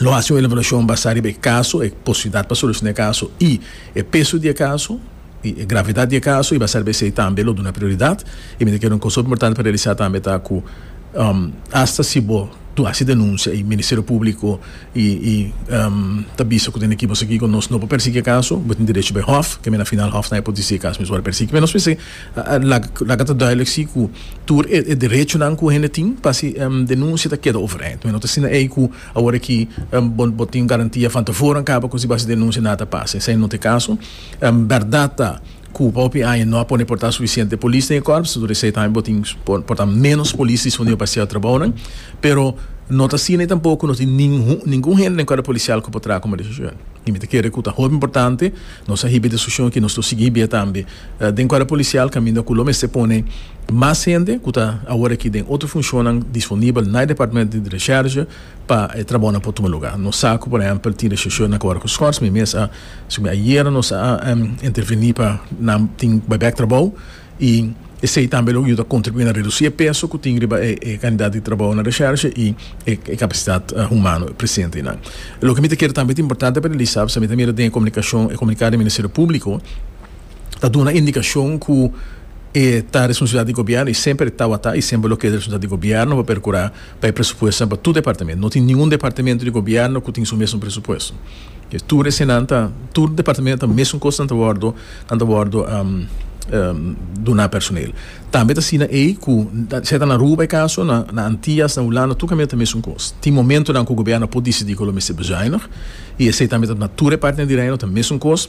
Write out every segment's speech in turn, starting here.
lo hasi un evaluashon basá riba e kaso, e posibilidat pa solushona e kaso i e peso di e kaso, i e gravidat di e kaso, i basá riba esei tambe lo duna prioridat. I mi ta kere un kos hopi importante pa realisá tambe ta ku asta si bo hasi denunsia i Ministerio Públiko i i ta bisa ku tene ki bo sigui kon nos no por persiguí e kaso, bo tin derecho pa e hòf, ke mi na final hòf tambe por disí e kaso mi sual persiguí, pero nos mester Laga ta duidelijk si ku tur e derechonan ku hende tin pa si denunsia ta keda overeind. Mi no ta asina ei ku awor aki bo tin garantia van tevoren kaba ku si bo hasi denunsia nada ta pasa. Esei no ta e kaso. Bèrdat ta ku pa hopi aña no a pone por ta sufisiente polis den e kòrps, tur esei tambe bo tin por ta ménos polis disponible pa hasi e trabounan. Pero no ta asina ei tampoko, no tin ningun hende den kòrp polisial ku por traha komo desishon. I mi ta kere ku ta hopi importante nos a hiba e desishon aki, nos lo sigui hibia tambe. Den kuadro polisial kaminda ku lo mester pone mas hende ku ta awor aki den otro funshonnan disponibel na e departamento di resherge pa e trabounan por tuma lugá. Nos sa ku por ehèmpel tin resheshó na Kòrgo Schors, mi mes a sumi ayera nos a intervení pa nan tin baibèk trabou i esei tambe lo yuda kontribuí na redusí e peso ku tin riba e kandidat di trabou na resherge i e kapasitat humano presente einan. Loke mi ta kere tambe ta importante pa realisá, pasobra mi ta mira den e komunikashon, e komuniká di Ministerio Públiko, ta duna indikashon ku e ta responsabilidat di gobièrnu i semper tawata i semper lo keda responsabilidat di gobièrnu pa perkurá pa e presupuestonan pa tur departamentu. No tin ningun departamentu di gobièrnu ku tin su mesun presupuesto. Ke tur esenan ta tur departamentu ta mesun kos nan ta wòrdu nan ta wòrdu duná personel. Tambe ta asina ei ku sea ta na Aruba e kaso na na Antias na Hulanda tur kamier ta mesun kos. Tin momentunan ku gobièrnu a por disidí ku lo mester bezuinig i esei tambe ta na tur e partenan di reino ta mesun kos.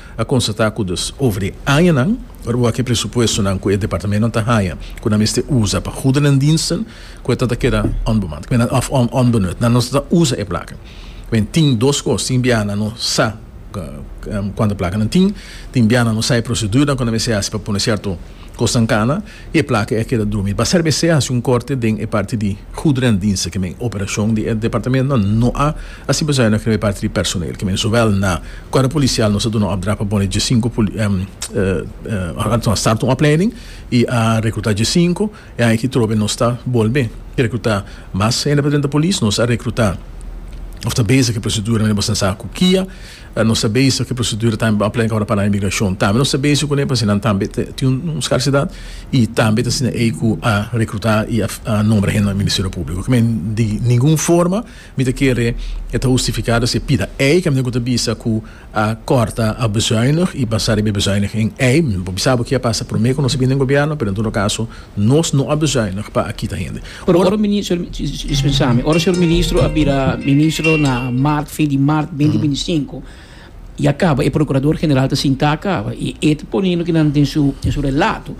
a constata cu dus over e añanan rua cu e presupuestonan cu e departamentonan ta haña cu nan mester usa pa goederendiensten cu eta ta keda onbemand of onbenut, nan no ta usa e placa. Wen tin dos cos, tin biaha nan no sa cuanta placa nan tin, tin biaha nan no sa e procedurenan cu nan mester haci pa pone cierto cosnan cana. Y e placa e keda drumi. Basera be se a haci un corte den e parti di goederendiensten ke men operacion di e departamentonan no a haci bezuiniging riba e parti di personeel ke men zowel na Cuerpo Policial nos a duna opdracht pa pone diescinco a starta un opleiding y a recruta diescinco e aña aki trobe nos ta bolbe recruta mas hende pa drenta Police nos a recruta of ta bezig e procedura mira boso ta sa cu kia. Nos ta bezig cu e procedura tambe por aplenca ora pa nan inmigracion. Tambe nos ta bezig cu nepa si nan tambe ta tin un scarcidad y tambe ta asina ey cu a recruta y a nombra hende na e Ministerio Publico. Oca mi a di ningun forma mi ta kere e ta hustificado si e pida ey ca mi tengo cu ta bisa cu a corta, a bezuinig y basa riba e bezuinig en ey. Mi no por bisa bo ki'a pasa prome cu nos a bini den Gobierno pero en todo caso Nos no a bezeinig pa a kita hende. Pero ora ministro, dispensami, ora señor ministro a bira ministro na maart, fin di maart benti binti sinku, ya kaba, e procurador general ta sinta kaba y e ta pone loke nan den su den su relato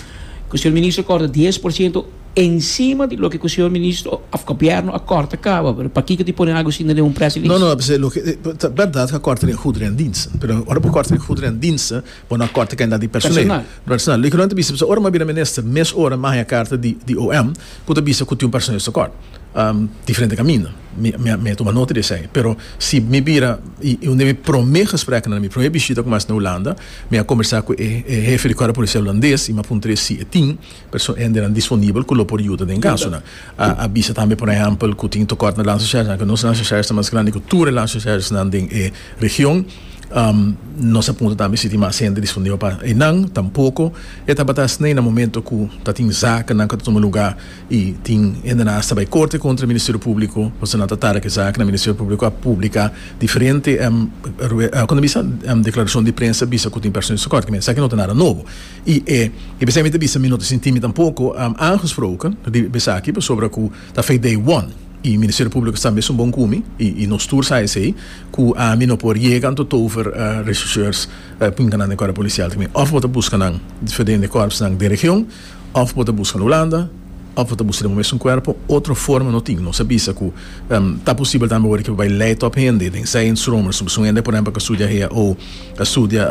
cu señor ministro a corta dies por ciento encima di loke cu señor ministro of gobierno a corta kaba, pero pakico tin pone algo asina den un press release? No, no, ta berdad cu a corta den goederen en diensten, pero ora bo corta den goederen en diensten, Bo no a corta cantidad di personal. Personal. Loke nan ta bisa, ora m'a bira minister, mes ora m'a haña carta di di OM cu ta bisa cu tin un personal di socor. Diferente caminda. Mi, mi a, mi a tuma nota di esey. Pero si mi bira, y, y un di mi prome gespreknan, mi prome bishita cu m'a haci na Hulanda, mi a combersa cu e, e hefe di Corpo Policial Hulandes y m'a puntra e si e tin Persoa hende nan disponibel ku lo por yuda den kasonan. A bisa tambe por ehèmpel ku tin tokòrt na Landshersers anke nos Landshersers ta mas grandi ku tur e Landshersersnan den e region. Nos a punta tambe si tin mas hende disponibel pa einan. Tampoko e tabata esnei na momento ku ta tin zakennan ku ta tuma lugá i tin hendenan hasta bai korte kontra e Ministerio Públiko pasobra nan ta tara ku e zakennan. Ministerio Públiko a publiká diferente, kon ta bisa? deklarashon di prensa bisa ku tin persones tokòrt. Kimen esaki no ta nada nobo. I e i besey mi ta bisa mi no ta sinti mi tampoko aangesproken di besaki pasobra ku ta fei dei won i Ministerio Públiko sta mesun bon ku mi i nos tur sa esei ku ami no por yega anto tover rechercheurs pa pinka nan den kòrp polisial ta mi òf bo ta buska nan diferente kòrpsnan den region òf bo ta buska na Hulanda òf bo ta buska den bo mesun kuerpo otro forma no tin nos a bisa ku ta posibel tambe awor ke bo bai lei tòp hende den Zijnstroomers nos ta buska un hende por ehèmpel ku a studia HAO a studia.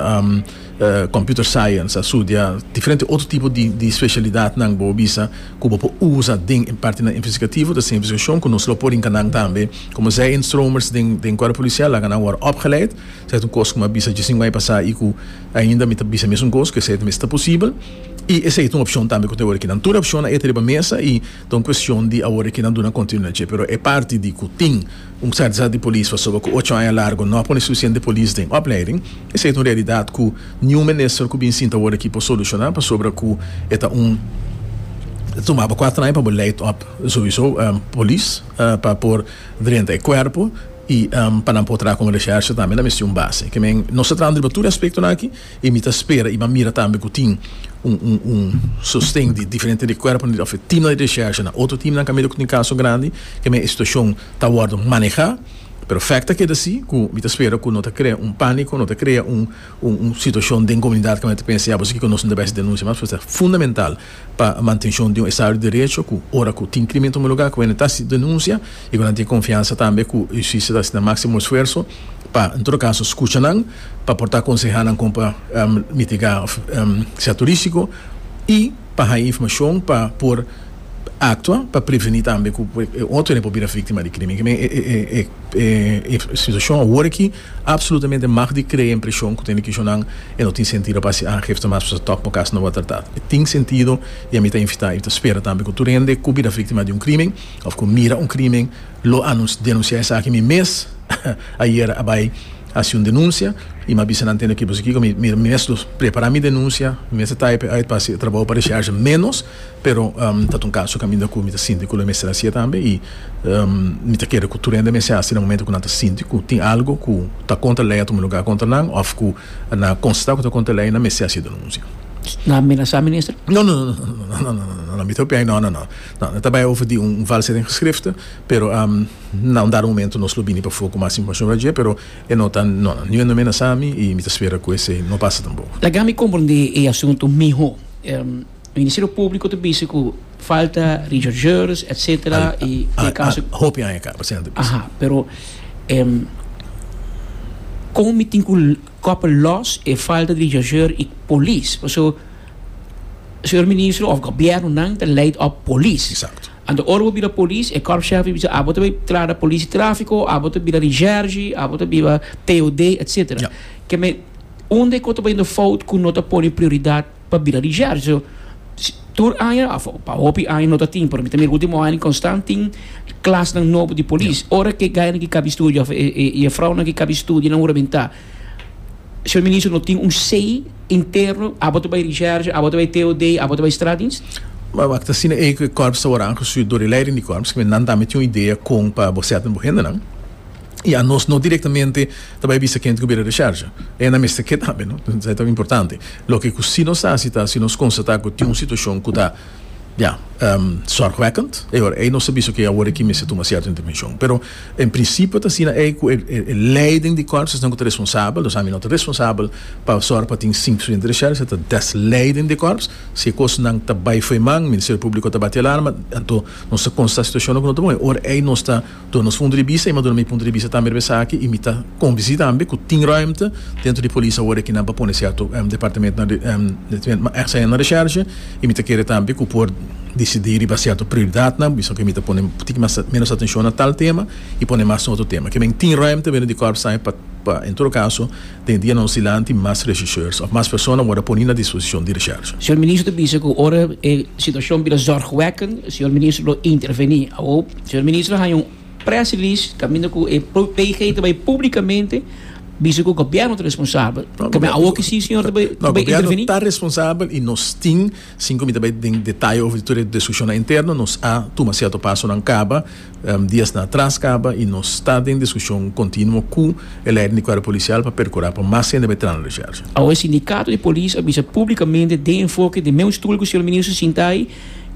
Computer Science, a studia diferente otro tipo di specialidadnan bo bisa cu bo por usa den e partinan investigativo, ta esey investigacion cu nos lo por rinca nan tambe. Como zij in stromers den Cuerpo Policial laga nan worde opgeleid, esey ta un cos cu mi a bisa djis tin un aña pasa y cu ainda mi ta bisa mesun cos, cu esey ta mester posibel y esey ta un opcion tambe cu ta awor aki nan. Tur e opcionnan e ta riba mesa y ta un cuestion di awor aki nan duna continuidad dje, pero e parti di cu tin. Un kardsa di polis pasobra ku ocho aña largu no a pone sufisiente polis den opleiding. Esei ta un realidat ku niun minister ku bin sinta awor aki por solushoná pasobra ku e ta un Ta tumaba kuater aña pa bo leid òp souiso polis pa por drenta e kuerpo i pa nan por traha kon reshershe tambe nan mester un base. Ke men nos ta traha riba tur e aspektonan aki. Y mi ta spera y mi a mira tambe cu tin un sosten di diferente di cuerponan di office, teamnan di recherchanan, otro teamnan cu a mira cu tin caso grandi, ke men e situacion ta wordo maneha, pero fect ta keda si cu mi ta spera cu no ta crea un panico, no ta crea un situacion den comunidad cu nan ta pensa ya boso kiko nos no ta bisa denuncia mas, pasobra ta fundamental. pa mantenshon di un estado di derecho ku ora ku tin krimen ta homologá ku hende ta hasi denunsia i ku nan tin konfiansa tambe ku hustisia ta hasi nan máksimo esfuerso pa en todo kaso skucha nan pa por ta konsehá nan kon pa mitigá sièto rísiko i pa haña informashon pa por aktua pa prevení tambe ku otro hende por bira víktima di krimen. Kimen e situashon awor aki. Absolutamente mag di crea impresion cu tene kishonan e no tin sentido pa haci aangifte mas pa su tok bo cas no word tratad. E tin sentido y ami ta invita y ta spera tambe cu tur hende cu bira victima di un crimen of cu mira un crimen lo anun denuncia esaki. Mi mes ayer a bay haci un denuncia y mi a bisa nan tende cu kico mi mes lo prepara mi denuncia, mi mes a type uit pa haci e trabao pa recharge menos. Pero ta ta un kaso kaminda ku mi ta sinti ku lo mester hasi e tambe i mi ta kere ku tur hende mester hasi na momentu ku nan ta sinti ku tin algu ku ta kontra lei a tuma lugá kontra nan òf ku nan a konstatá ku ta kontra lei nan mester hasi denunsia. Nan a amenasá minister? No no no mi ta hopi ai no no no ta bai over di un valshet in geschrifte pero na un dado momento nos lo bini pafó ku mas informashon riba dje pero e no ta no no niun hende no a amenasá mi i mi ta spera ku esei no pasa tampoco. Laga mi komprendé e asuntu mihó. Ministerio Públiko ta bizi ku falta rechercheurs etc. I den e kaso. Al hopi aña kaba siña ta bizi. Aha, pero kon mi tin ku kopa lòs e falta di rechercheur i polis? Paso señor Ministro òf gobièrnunan ta leid òf polis. Exacto. Anto ora bo bira polis e kòrpshèf i bisa abo ta bai trada polis di trafiko, abo ta bira recherche, abo ta bira POD etc. Yep. Keme unda e kos ta bayendo fout ku no ta pone prioridat? pa bira di Shergio tur aña of pa hopi aña no ta tin pero mi ta mira ku último aña konstant tin klasnan nobo di polis ora ke gainan ki kaba studia of e e yefrounan ki kaba studia nan huramentá Señor Minister no tin un sei interno abo ta bai di Shergio abo ta bai TOD abo ta bai Straatdienst? Wak wak ta asina ei ku e kòrps ta wòrdu aangesiu dor e leiding di kòrps ku nan tambe tin un idea kon pa bo sèt den bo hendenan i anos no direktamente ta bai bisa kende ku bira di Shergio e nan mester ke tambe no esei ta importante. Loke ku si nos hasi ta si nos konstatá ku tin un situashon ku ta, ya, sòrgwekkend, e ora ei nos ta bisa, oke, awor aki mester tuma sierto intervenshon. Pero en prinsipio ta asina ei ku e leiden di kòrs esnan ku ta responsabel, nos ami no ta responsabel pa sòrg pa tin sink studente di shèl, se ta des leiden di kòrs. Si e kosnan ta bai fo'i man, Ministerio Públiko ta bati alarma, anto nos ta konstatá situashonnan ku no ta bon, e ora ei nos ta. Dor nos punto di bista y maduna mi punto di bista tambe riba esaki y mi ta convenci tambe cu tin ruimte dentro di polis awor cu nan pa pone cierto departamentonan departamentonan mas ex ain na recherche y mi ta kere tambe cu por decidi riba cierto prioridadnan bisora cu mi ta pone un poquito mas menos atencion na tal tema y pone mas na otro tema kimen tin ruimte dentro di Corpsai pa en todo caso Den dia nos dilanti mas regisseurs of mas persona word a poni na disposicion di recherche. Señor Minister bisa cu ora e situacion bira zorgwekkend, Señor Minister lo interveni. Awor Señor Minister a haña un press release caminda cu e PG ta bay publicamente bisa cu Gobierno ta responsabel. Caminda awor ki si Señor ta bay interveni? No, Gobierno ta responsabel y nos tin, sin cu mi ta bay den detaye over tur e discusionan interno, nos a tuma cierto pasonan caba Diasnan atras kaba i nos ta den diskushon kontinuo ku e leider di kuerpo polisial pa perkurá pa mas hende bai trana Resherche. Awe e sindikato di polis a bisa públikamente den enfoke di meu stul ku señor minister Sintay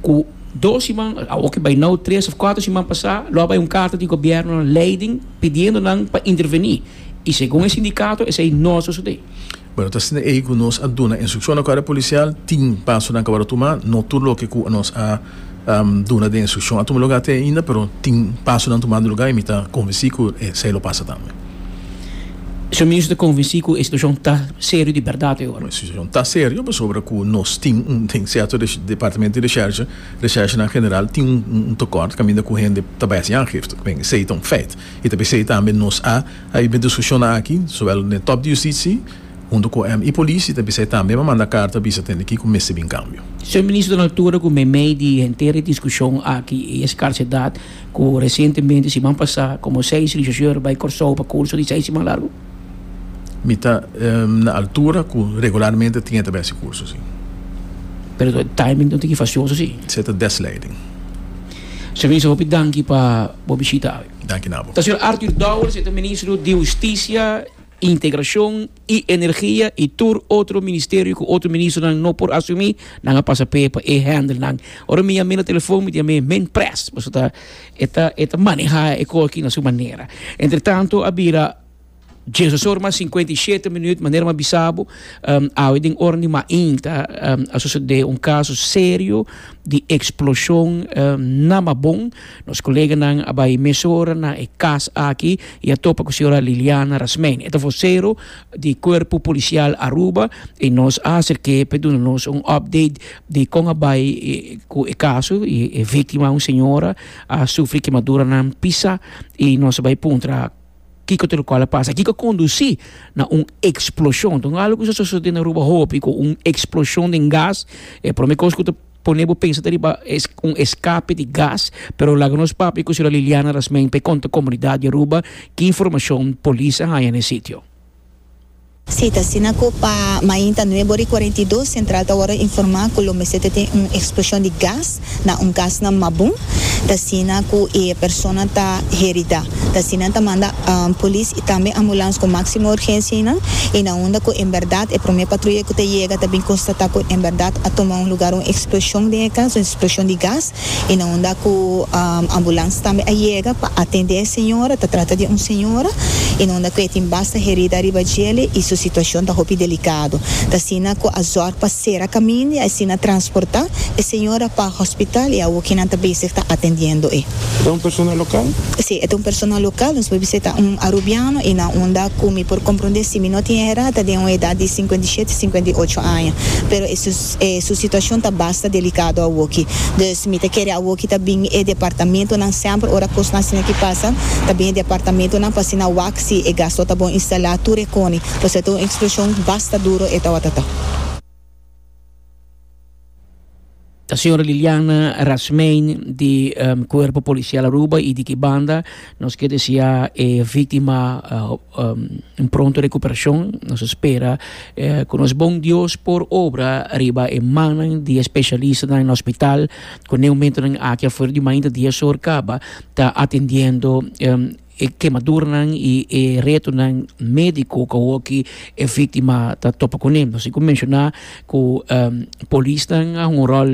ku dos siman awo ke bai nou tres òf kuater siman pasá lo a bai un karta di gobièrnu na leiding pidiendo nan pa intervení i segun e sindikato esei no a sosodé. Bueno, ta asina ei ku nos a duna instrukshon na kuerpo polisial, tin pasonan ku a wòrdu tumá, no tur loke ku nos a. duna den instrukshon a tuma lugá te ainda, pero tin pasonan tumando lugá i mi ta konvensí ku esei lo pasa tambe. Su Minister ta konvensí ku e situashon ta serio di bèrdat e ora? E situashon ta serio pasobra ku nos tin un den sierto departamento di reshèrsha, reshèrshanan general, tin un tekòrt kaminda ku hende ta bai hasi aangifte. Bien, esei ta un fèit i ta p'esei tambe nos a haiba e diskushonnan aki, sowel den top di Yustisi, Huntu cu MI polici ta bisa e tambe ma manda carta bisa tende kico mester bin cambio. Señor Minister den altura cu meimei di henter e discusion aki y e scarcedad cu recientemente siman pasa como seis rechercheur bay Corsou pa curso di seis siman largo. Mi ta na altura cu regularmente tin e ta bay así curso si. Pero e timing no tin ki facioso si. Sey ta des leiding. Señor Minister hopi danki pa bo bishita awe. Danki na bo. Ta señor Arthur Dowers, e ta Ministro di Husticia. Integracion y Energia y tur otro ministerio cu otro ministronan no por asumi, nan a pasa p'e pa e handle nan. Ora mi yam'e na telefon mi di yam'e min pres, paso ta e ta e ta maneha e cos aki na su manera. Entre tanto a bira dies dos or mas cincuenta y shete minuut, manera m'ha bisa bo awe den ora di mainta a sucede un caso serio di explosion na Mabon. Nos koleganan a bai mesora na e kas aki i a topa ku señora Liliana Rasmein. E ta vosero di Kuerpo Polisial Aruba i nos a aserk'é pa e duna nos un òpdeit di kon a bai ku e kaso. E víktima, un señora, a sufri kemaduranan pisa i nos a bai puntra kiko ta lokual a pasa. Kiko a kondusí na un eksploshon? Ta un algu ku sa sosodé na Aruba hopi ku un eksploshon den gas e promé kos ku ta. Pone bo pensa ta riba un escape di gas pero laga nos papia cu señora Liliana Rasmijn pa e conta comunidad di Aruba ki informacion polis a haya na e sitio. Si, ta asina cu pa mainta nuebo ri cuarenta i dos central ta worde informa cu lo mester ta tin un explosion di gas na un cas na Mabun, ta asina cu e persona ta herida. Ta asina ta manda. Polis y tambe ambulans cu maximo urgencia y nan y na unda cu en berdad e prome patruya cu ta yega ta bin constata cu en berdad a tuma un lugar un explosion den e cas, un explosion di gas y na unda cu ambulans tambe a yega pa atende e señora, ta trata di un señora y na unda cu e tin basta herida riba djele y su situacion ta hopi delicado. Ta asina cu a zorg pa cera caminda y asina transporta e señora pa hospital y awo kinan ta bezig ta atendiendo e. E ta un persona lokal? Sí, e ta un persona lokal. Nos por bisa e ta un arubiano i nan unda ku mi por komprondé si mi no tin e rata den un edat di sinkuenta i shete, sinkuenta i ocho aña. Pero e su e su situashon ta basta delikado awoki. Dus mi ta kere awoki ta bin e departamentonan semper ora kosnan asina ki pasa ta bin e departamentonan pa asina wak si e gas lo ta bon instalá tur e koni. Pues e ta un ekspleshon basta duro e tawata ta. Ta señora Liliana Rasmein di Cuerpo Policial Aruba y di ki banda nos quier desea e victima un pronto recuperacion. Nos espera cu nos bon Dios por obra riba e mannan di e specialistanan na hospital cu n'e momentonan aki afuera di mainta dies or caba ta atendiendo E kemaduranan i e retonan médiko ku awoki e víktima ta topa kuné. Nos tin ku menshoná ku polisnan a hunga un ròl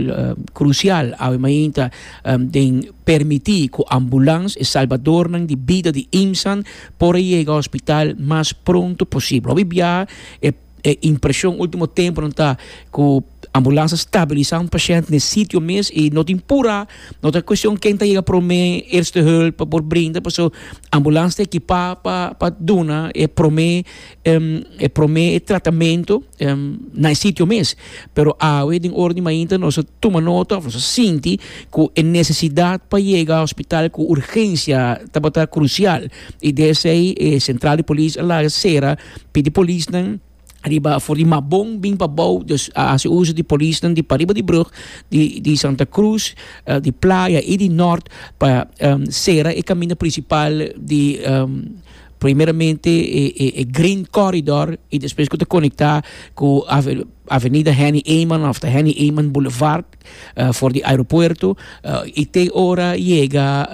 krusial awe mainta den permití ku ambulans, e salbadornan di bida di Imsan, por a yega hospital mas pronto posibel. Hopi biaha e. e impresión último tempo nan ta ku ambulansa stabilisá un pashènt n'e sitio mes i no tin purá, no ta kuestión ken ta yega promé, eerste hulp pa por brinda pasobra ambulansa ta ekipá pa pa duna e promé e promé tratamentu na e sitio mes. Pero awe den ora di mainta nos a tuma nota òf nos a sinti ku e nesesidat pa yega hospital ku urgensia tabata krusial i desei e sentral di polis a laga sera. Pidi polisnan riba for di Mabon bin pa bou, dus a hasi uso di polisnan di pariba di brug di di Santa Cruz, di Playa i di Nort pa sera e kaminda prinsipal di primeramente e Green Corridor i despues ku ta konektá ku Avenida Henny Eman òf ta Henny Eman Boulevard for di aeropuerto i te ora yega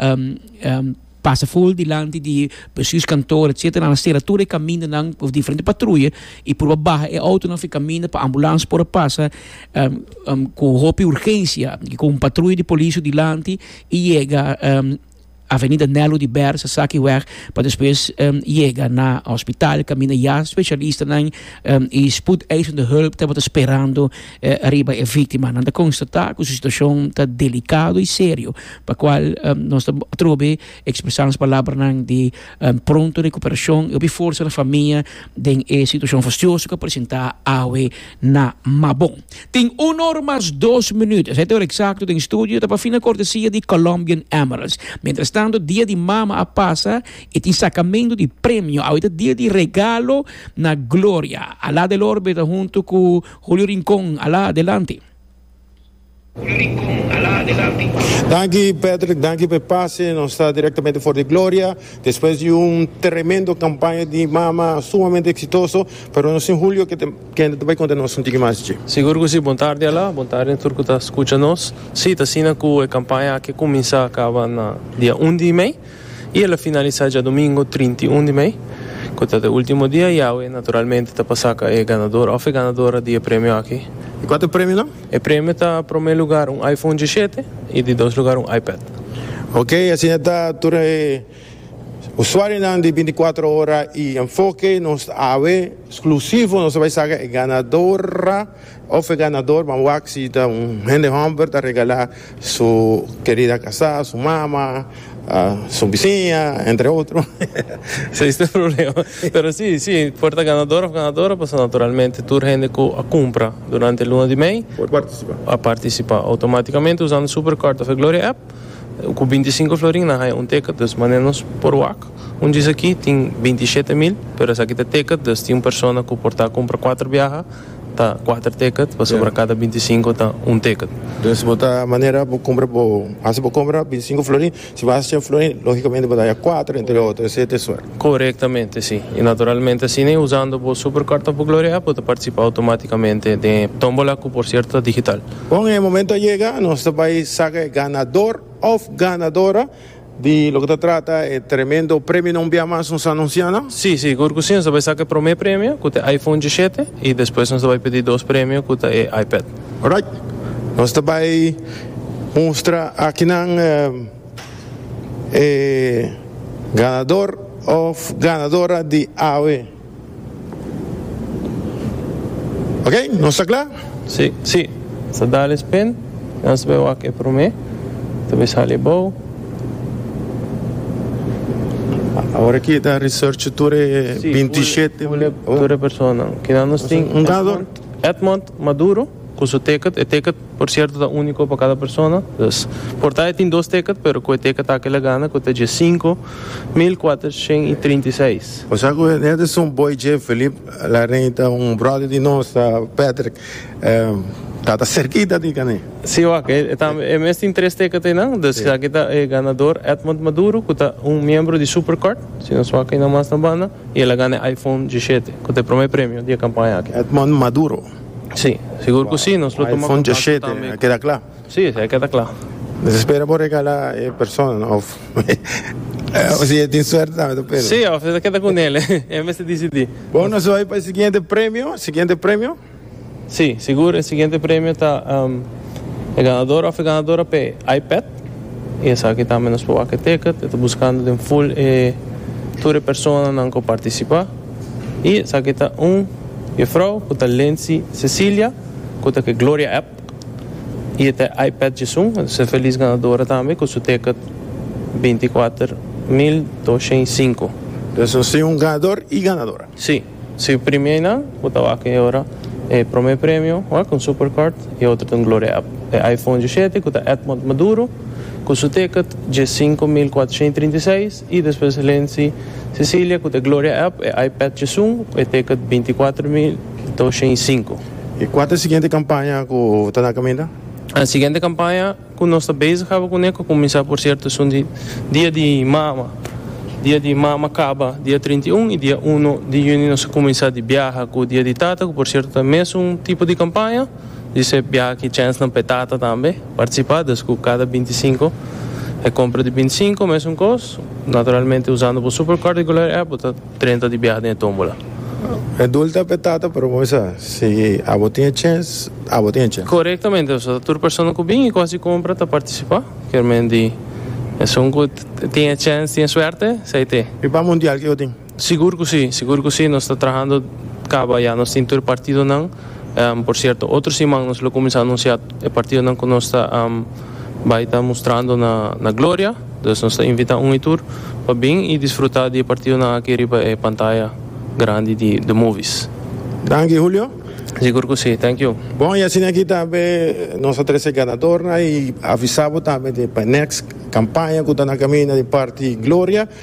pasa ful dilanti di besus kantor etcetera nan a sera tur e kamindanan of diferente patruye i pruba baha e outonan for e kaminda pa ambulans por a pasa ku hopi urgensia i ku un patruye di polis so dilanti i yega Avenida Nelu di Bèrsa esaki wèg pa despues yega na hospital kaminda ya spesialistanan i spoedeisende hulp tabata sperando. E riba e víktima nan ta konstatá ku su situashon ta delikado i serio, pa kual nos ta atrob'é ekspresá nos palabranan di pronto rekuperashon i hopi forsa na famia den e situashon fastioso ku a presentá awe na Mabon. Tin un or mas dos minüt, esei ta e or eksakto den studio ta pafina kortesia di Colombian Emeralds. Mientrastanto Dia di Mama a pasa i tin sakamentu di premio, awe ta dia di regalo na Gloria. Alada el orbe ta huntu ku. Julio Rincon a la adelante. Julio Rincon a la adelante. Danki Patrick, danki p'e pase. Nos ta direktamente for di Gloria despues di un tremendo kampaña di mama sumamente eksitoso, pero nos tin Julio ke kende ta bai konta nos un tiki mas dje. Sigur ku si, bon tardi a la, bon tardi tur ku ta skucha nos. Si, t'asina ku e kampaña aki kuminsá kaba na dia un di mei. I el a finalisá djadumingu trinta i un di mei, ku ta ta e último dia, i awe naturalmente ta pa saka e ganador òf e ganadora di e premio aki. I kua ta e premionan? E premio ta promé lugar un iPhone dishete i di dos lugar un iPad. Ok, asina ta tur e usuarionan di binti kuater ora i Enfoke, nos awe sklusivo nos ta bai saka e ganadora Of e ganador ban wak si ta un hende hòmber ta regalá su kerida kasá, su mama, su bisiña, entre otro. Esei es tur problema. Pero sí, sí, por ta ganador of ganadora, pasobra naturalmente tur hende ku a kumpra durante e luna di mei Por partisipá. a partisipá outomátikamente usando Superkort of e Gloria app. Ku binti sinku florin nan haña un teket, dus manera nos por wak. Un djis aki tin binti shete mil, pero esaki ta teket, dus tin un persona ku por ta a kumpra kuater biaha. ta kuater ticket pasobra kada binti sinku ta un ticket. Entonces bo ta manera bo compra bo haci bo compra binti sinku florin si bo haci cien florin logicamente bo ta haya kuater entre otro esey ta e suerte. Correctamente si y naturalmente asina y usando bo supercard of gloria app bo ta participa automaticamente den e tombola cu por cierto ta digital. Bon e momento a yega nos ta bay saca e ganador of ganadora Di loke ta trata e tremendo premionan un bia mas nos a anuncia nan? Sí, sigur cu sí. Nos ta bay saca e prome premio, cu ta e iPhone dieshete, y despues nos ta bay pidi dos premio, cu ta e iPad. Alright. Nos ta bay mustra akinan e ganador of ganadora di awe. Ok, nos ta kla? Sí, sí. Sa dale spin. Nos bai wak e prome. Ta bai sali abou. Awor aki ta research tur e Sí, 27. pule, pule tur e personanan. Kinan nos tin? Un dador. Edmond Maduro. cu su ticket. E ticket por cierto ta unico pa cada persona. Dus por ta e tin dos ticket pero cu e ticket aki la gana cu ta dje cinco mil cuatershent y trinta y seis. Bo sa cu Henderson Boy J. Philip Larrain ta un brother di nos, ta Patrick. Ta ta cerquita di cana. Si wak, e ta e mes tin tres ticket eynan. Dus esaki ta e ganador Edmond Maduro cu ta un miembro di Super Card, si nos wak eynan mas na banda, y el a gana e iPhone dieshete cu ta e prome premio di e campaña aki. Edmond Maduro. Sí, sigur cu sí, nos lo tuma contacto tambe. Keda cla? Sí, esey keda cla. Nos espera por regala e persona of si e tin suerte tambe ta pelu. Sí, of e ta keda cu nel, e mester dicidi. Bo nos bai pa e siguiente premio, siguiente premio? Sí, sigur e siguiente premio ta e ganador of e ganadora p'e iPad y esaki tambe nos por wak e ticket, e ta buscando den full e tur e personanan cu participa. I esaki ta un jefrouw ku ta Lency Cecilia ku ta ke Gloria app i e ta e iPad Jisun. E ta ser felis ganadora tambe ku su ticket binti kuater mil doshen i sinku. Pues nos tin un ganador i ganadora. Si, si primeinan ku ta wak e ora e prome premio wak un supercard i e otro ta un Gloria app. E iPhone djisiete ku ta Edmond Maduro ku su ticket dje sinku mil kuatershen i trinta i seis. I despues e lensi Cecilia cu t'e Gloria App, e iPad Chesum cu e Teket binticuater mil doshent i sinku. I cua ta e siguiente campaña cu ta na caminda? E siguiente campaña cu nos ta bezig aba cune cu cuminsa por cierto esun di Dia di Mama. Dia di Mama caba dia trinta i un i dia uno di Juni nos a cuminsa di biaha cu Dia di Tata cu por cierto ta mesun tipo di campaña. Di su e biaha chèns nan p'e tata tambe partisipá, dus ku kada bintisinko e kompra di bintisinko mesun kos. Naturalmente usando bo Super Card di Gulari app bo ta drenta di biaha den e tómbola. E dul ta p'e tata pero bo bisa si abo tin e chèns, abo tin e chèns. Korektamente, pasobra ta tur persona ku bin i ku hasi kompra ta partisipá, kermen di esun ku tin e chèns tin e suerte, esei t'e. Riba mundial ke yo tin. Sigur cu si, sigur cu si. Nos ta trahando caba ya. Nos tin tur e partidonan. Por cierto, otro siman nos lo cuminsa anuncia e partidonan cu nos ta bay ta mustrando na Gloria. Dus nos ta invita un y tur pa bin y disfruta di e partidonan aki riba e pantaya grandi di The Movies. Danki, Julio. Sigur cu si. Thank you. Bon, y asina aki ta be nos a trece e ganadornan y avisa bo tambe di pa e next campaña cu ta na caminda di parti Gloria.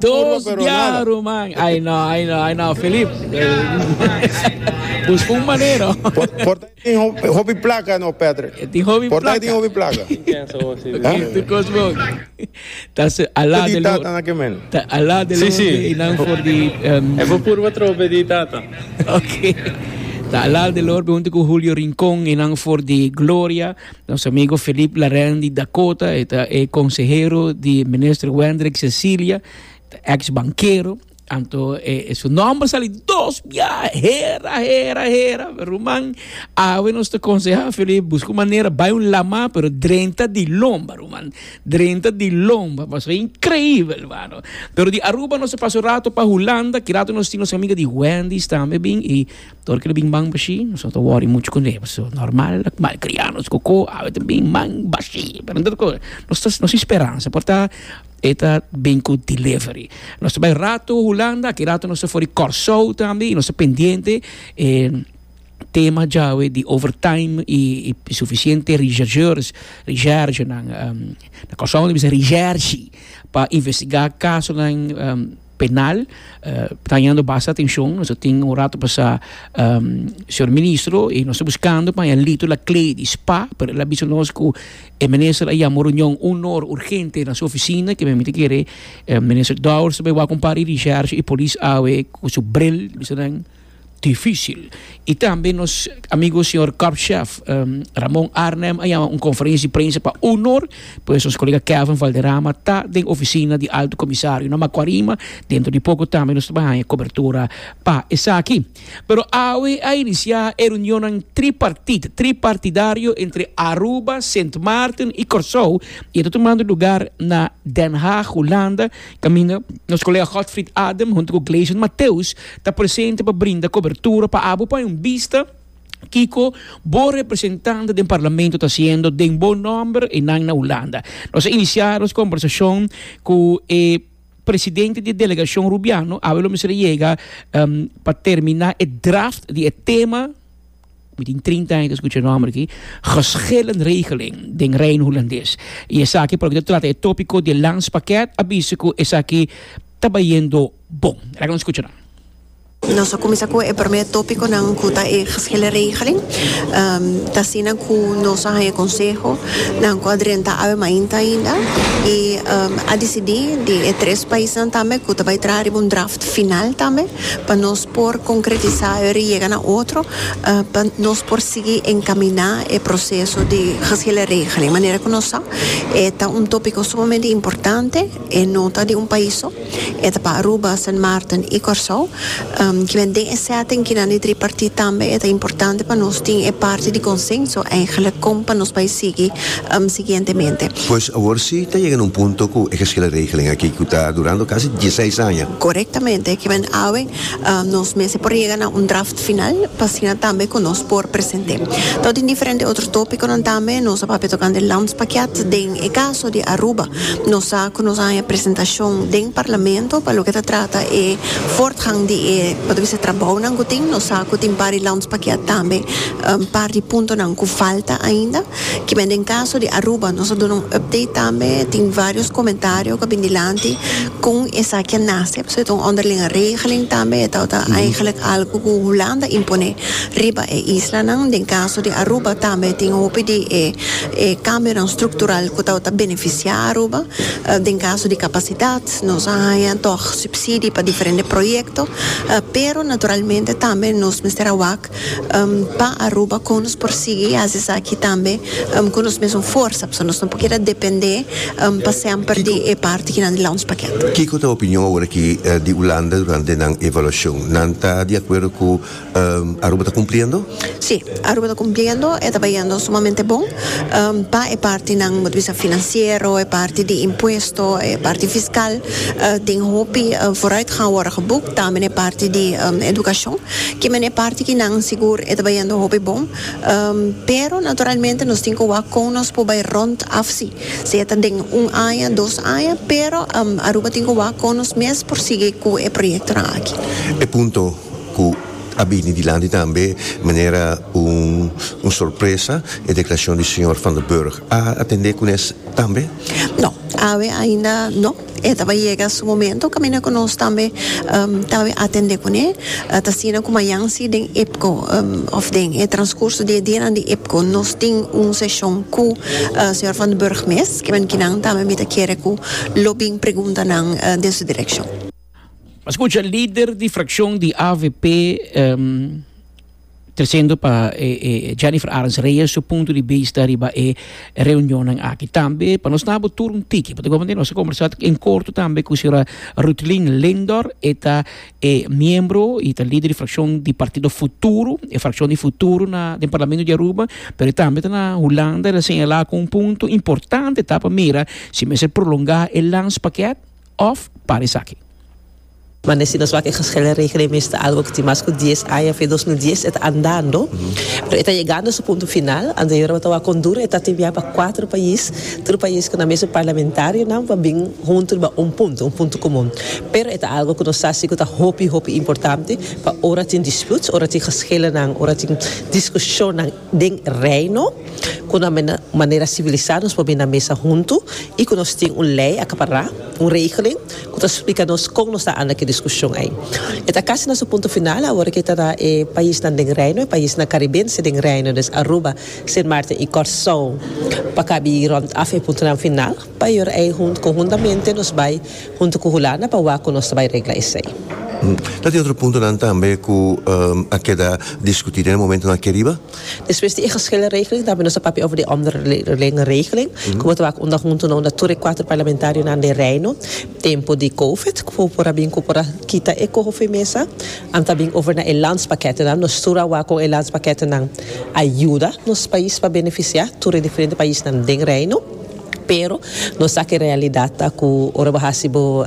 Dos bia ruman ay no ay no ay no Filip busca un manera e tin hopi placa ta so ala de lo ta ala de lo e nan for di ok ta ala de lo junto cu Julio Rincon e nan for di Gloria. Nos amigo Philippe Larin di Dakota, e ta e consehero di minister Wendrick Cecilia, ta ex bankero, anto e, e su nomber sali dos bia, hera, hera, hera, ruman, awe nos ta conseha Philippe, busca un manera, bay un lama, pero drenta di lomba, ruman, drenta di lomba, pasobra increibel, mano. Pero di Aruba nos a pasa un rato pa Hulanda, ki rato nos tin nos amiga di Wendy's tambe bin, y, Dor ke lo bin man bashí nos no ta wòri muchu kuné pasobra nòrmal ak malkrianos ku ko a beta bin man bashí pero no ta kos nos ta nos tin speransa por ta e ta bin ku delivery nos ta bai rato hulanda aki rato nos ta for di kòrsou tambe i nos ta pendiente e tema djawe di overtime i sufisiente researchers researchernan kòrsou ta bisa researchi pa investigá kasonan. penal ta hañando basta atencion nos a tin un rato pasa um, señor ministro y nos ta buscando pa haña lito la clay di spa pero el a bisa nos cu e minister a llama reunion un or urgente na su oficina que men miti kere eh, minister Dowers ta bay wak un par y di sheriffs y polis awe cu su bril bisa nan difícil. Y tambe nos amigo señor Corp Chef Ramon Arnhem a yama un conferencia de prensa pa honor pues nos colega Kevin Valderrama ta den oficina di Alto Comisario na Macuarima. Dentro di poco tambe nos ta bay haya cobertura pa esaki. Pero awe a inicia e reunionnan tripartite, tripartidario, entre Aruba, Sint Maarten y Corsou y e ta tumando lugar na Den Haag, Hulanda Caminda, nos colega Godfried Adem hunto cu Gleison Mateus ta presente pa brinda cobertura pa abo pa un bista kico bo representante den Parlamento ta haciendo den bo nomber y nan na Hulanda. Nos a inicia nos conversacion cu e Presidente di e delegacion Rubiano, awe lo mester a yega pa termina e draft di e tema. Mi tin trinta aña ta escucha e nomber aki, geschillen regeling den Reino Hulandes. Y esaki por lo que ta trata e topico di e landspakket a bisa cu esaki ta bayendo bon. Laga nos scucha nan. Nos a cuminsa cu e primer topiconan cu ta e geschillen regeling. Ta asina cu nos a haña consehonan cu a drenta awe mainta ainda y a dicidi di e tres paisnan tambe cu ta bay traha riba un draft final tambe pa nos por konkretisá e riega na otro pa nos por sigui enkaminá e proseso di hasi el e regeling. Manera ku nos sa e ta un tópiko sumamente importante, e no ta di un pais so, e ta pa Aruba, Sint Maarten i Kòrsou. Kimen den e sètting kinan di tripartit tambe e ta importante pa nos tin e parti di konsenso eigelik kon pa nos bai sigui siguientemente. Pues awor si ta yega na un punto ku e hasi el e regeling aki ku ta durando kasi dieseis aña. Korektamente, kimen awe nos mester por yega na un draft final pa asina tambe ku nos por present'é. Ta tin diferente otro tópikonan tambe, nos a papia tokante landspakiat. Den e kaso di Aruba, nos sa ku nos a haña presentashon den Parlamento pa loke ta trata e fortgang di e por ta bisa trabounan ku tin. Nos sa ku tin par di landspakiat tambe un par di puntonan ku falta ainda. Kimen den kaso di Aruba, nos a duna un update tambe, tin vários komentario ku a bin dilanti kon esaki a nase, pasobra e ta un onderlinge regeling tambe, e tabata eigenlijk algu ku Hulanda imponé riba e islanan. Den kaso di Aruba tambe tin hopi di e e kambionan struktural ku tabata benefisiá Aruba, den kaso di kapasidat, nos a haña tòg supsidi pa diferente proyekto, pero naturalmente tambe nos mester a wak Pa Aruba kon nos por sigui hasi esaki tambe ku nos mesun forsa pasobra nos no por keda depende pa semper di e parti kinan di lounge paket. Kiko ta e opinion awor aki di Ulanda durante nan evaluashon? Nan ta di akuerdo ku Aruba ta kumpliendo? Si, Aruba ta kumpliendo. E ta bayendo sumamente bon. Pa e partinan, bo ta bisa finansiero, e parti di impuesto, e parti fiskal, tin hopi foruitgang awor a geboekt. Tambe na e parti di edukashon. Kimen e parti ki nan sigur e ta bayendo hopi bon, pero naturalmente nos tin ku wak kon nos por bay rond afsi, sea ta den un aña, dos aña, pero Aruba tin ku wak kon nos mes por sigui ku e proyektonan aki. E punto ku a bini dilanti tambe manera un sorpresa, e deklarashon di señor Van der Burg, a atende ku nes tambe? No, awe ainda no. E ta bay yega su momento caminda cu nos tambe ta bay atende cune. Ta asina cu mayan si den IPCO of den e transcurso di e dianan di IPCO nos tin un sesion cu Señor Van den Burg mes, kimen ki nan tambe mi ta kere cu lo bin pregunta nan den su direccion. Scucha lider di fraccion di avp. Tresendo pa Jennifer Arends Reyes su punto di bista riba e reunionnan aki. Tambe pa nos nabo tur un tiki, pa gomen nos a conversa en corto tambe cu señora Ruthlin Lindor, e ta e miembro y ta lider di fraccion di partido Futuro, e fraccion di Futuro na den Parlamento di Aruba, pero e tambe ta na Hulanda, el a señala cu un punto importante ta pa mira si mester prolonga e landspakket of para esaki. Mane si nos wak e geshele regering mester algo ku tin mas ku dies aña fe dos mil dies e ta andando pero e ta yegando su punto final anterior bo ta wak Honduras e ta timiá pa kuater pais tur pais ku na mesun parlamentarionan pa bin huntu riba un punto un punto komun pero e ta algo ku nos sa si ku ta hopi hopi importante pa ora tin disputes ora tin geshelenan ora tin diskushonnan Den Reino, ku na manera sivilisá nos por bini na mesa huntu i ku nos tin un lei akapará, un regeling, ku ta splika nos kon nos ta anda ku e diskushon ei. E ta kasi na su punto final awor ku e ta na e paisnan den Reino, e paisnan karibense den Reino, des Aruba, Sint Maarten i Kòrsou, pa kabi rònt af e puntonan final. Pa yor ei conhuntamente nos bai hunto cu Hulanda pa wak cu nos ta bai regla esey. Ta tin otro puntonan tambe cu a keda discuti den e momentonan aki riba? Despues di e geschilregeling tambe nos a papia over di e omderlingeregeling cu bo ta wak unda hunto no unda tur e cuater parlamentarionan den Reino tempo di covid cu por a bin cu por a kita e coho fen mesa. An ta bin over na e landspakketennan. Nos tur a wak con e landspakketennan a yuda nos pais pa beneficia tur e diferente paisnan den Reino. Pero nos sa cu realidad ta cu ora bo haci bo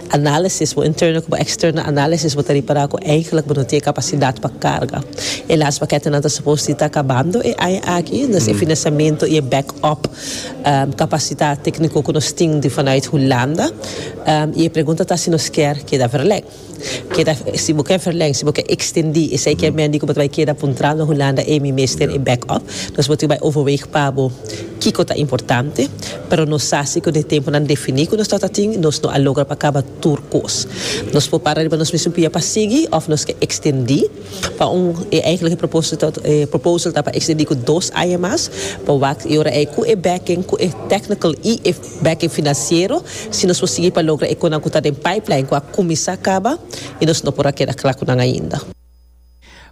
análisis, bo interno cu bo externo análisis, bo ta ripara cu eigenlijk bo no tin e capacidad pa carga. E las paketenan ta supos di ta cabando e aña aki, dus e financiamento y e back-up capacidad tecnico cu nos tin di vanuit Hulanda. Y e pregunta ta si nos kier keda verlek. Keda, si bo ke verleng, si bo ke extendi esei ke mendi ku bo ta bai keda puntra na Hulanda ei mi mester e back up. Nos bo tin bai overweeg pa bo kiko ta importante. Pero nos sa si ku den e tempunan defini ku nos tabata tin nos no a logra pa kaba tur kos. Nos por para riba nos mismu pia pa sigui òf nos ke extendi pa un, e eigenlijk e proposito, e proposal ta pa extendi ku dos aña mas. Bo wak i ora ei ku e backing, ku e technical i e. Backing financiero, si nos por sigui pa logra e conan cu ta den pipeline cu a cuminsa caba y nos no por a keda cla cu nan ainda.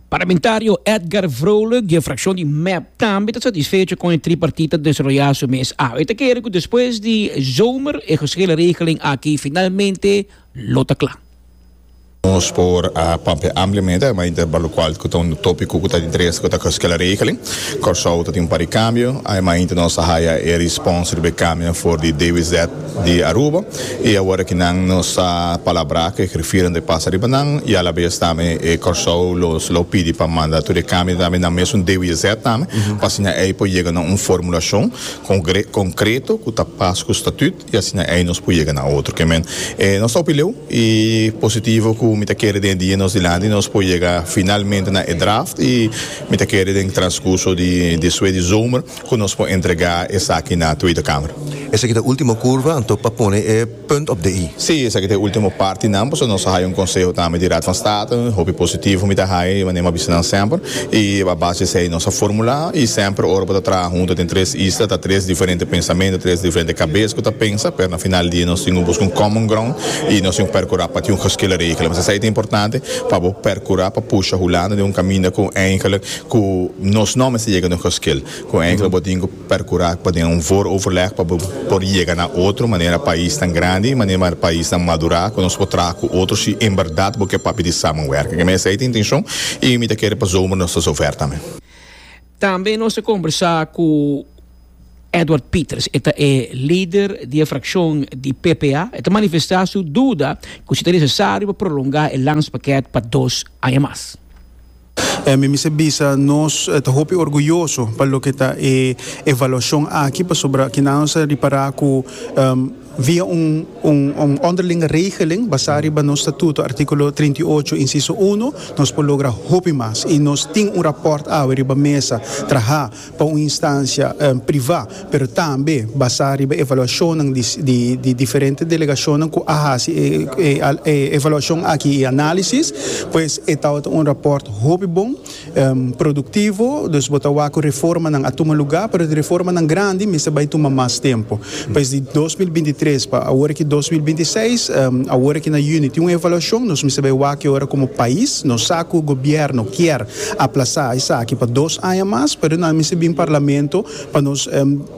Parlamentario Edgar Vrolijk di e fraccion di mep tambe ta satisfecho con e tripartita desaroya su mes awe. E ta kere cu despues di zomer e geschilregeling aki finalmente lo ta cla. Nos por a papia ampliamente a mainter banda locual cu ta un topico cu ta di interese cu ta coskia la regele. Corsou ta tin un par di cambio. A mainter nos a haya e respons riba e cambio nan for di David Zet di Aruba y awor aki nan nos a palabra cu e grifiernan ta pasa riba nan y alabes tambe e Corsou lo lo pidi pa manda tur e cambio tambe nan mesun David Zet tambe pa siña ey por yega na un formulacion congre concreto cu ta pas cu statut I asina ei nos por yega na otro. Kemen, e nos ta hopi leu i positivo ku mi ta kere den e dia nos dilanti nos por yega finalmente na e draft i mi ta kere den transkurso di di sue di zomer ku nos por entrega esaki na Tweede Kamer. Esaki ta ultimo kurva, anto pa pone e punt op de i. Si, esaki ta e ultimo partinan, pasobra nos a haya un konseho tambe di Raad van State, hopi positivo mi ta haya di manera mi a bisa nan semper. I a base di esei nos a formulá. I semper ora bo ta traha huntu den tres isla ta tres diferente pensamentu, tres diferente kabes ku ta pensa, pero na final di dia nos tin ku buska un common ground i nos tin ku perkurá pa tin un geskilde regelen. Pues esei ta importante pa bo perkurá pa pusha Hulanda den un kaminda ku eigenlijk ku nos no mester yega den un geskil, ku eigenlik bo tin ku. percura pa den un voor overleg pa bo por yega na otro manera paisnan grandi manera paisnan madura cu nos por traha cu otro si en berdad bo ke papia di samenwerking. Kende esei ta intencion y mi ta kere pa zomer nos ta zover tambe. Tambe nos a combersa cu Edward Pieters, e ta e lider di e fraccion di ppa. E ta manifesta su duda cu si ta necesario pa prolonga e landspaket pa dos aña mas. E mi mester bisa, nos ta hopi orguyoso pa loke ta e evaluashon aki, pasobra kina nos a ripará ku via un un ònderlinge regeling basá riba nos statuto, artíkulo trinta i ocho, insiso uno, nos por logra hopi mas i nos tin un rapòrt awe riba mesa trahá. pa un instancia priva, pero tambe basa riba evaluacionnan di diferente delegacionnan cu a haci e evaluacion aki y analisis, pues e tabata un rapport hopi bon, productivo, dus bo ta wak cu reformanan a tuma lugar, pero di reformanan grandi mester bay tuma mas tempo. Pues di dos mil binti tres pa awor aki dos mil binti seis, awor aki na Juni tin un evaluacion, nos mester bay wak ki ora como pais, nos sa cu gobierno kier A plasá esaki pa dos aña mas, pero nan a mester bin Parlamento pa nos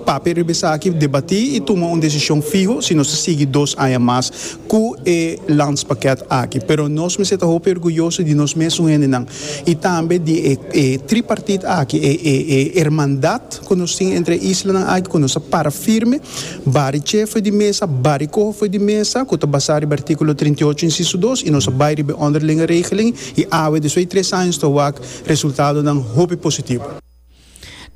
papia riba esaki, debatí i tuma un desishon fiho si nos ta sigui dos aña mas ku e Landspakket aki. Pero nos mester ta hopi orguyoso di nos mes un hendenan i tambe di e tripartit aki, e hermandad ku nos tin entre e islanan aki ku nos a para firme, bari che for di mesa, bari koho for di mesa, ku ta basá riba artíkulo trinta i ocho, insiso dos, i nos a bai riba e onderlinge regeling. I awe despues di tres años ta wak resultadonan hopi positivo.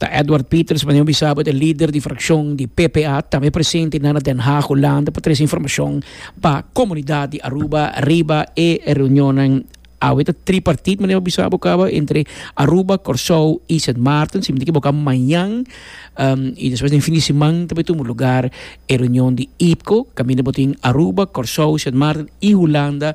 Ta Edward Pieters Mañon Bisabo ta e lider di frakshon di PPA tambe presente na na Den Haag, Hulanda pa trese informashon pa komunidat di Aruba riba e reunionnan. Awe ta tripartit Mañon Bisabo kaba entre Aruba, Kòrsou i Sint Maarten. Si mi no ta ekiboká mañan i despues den fin di siman ta por tumu lugar e reunion di IPKO kaminda bo tin Aruba, Kòrsou, Sint Maarten i Hulanda.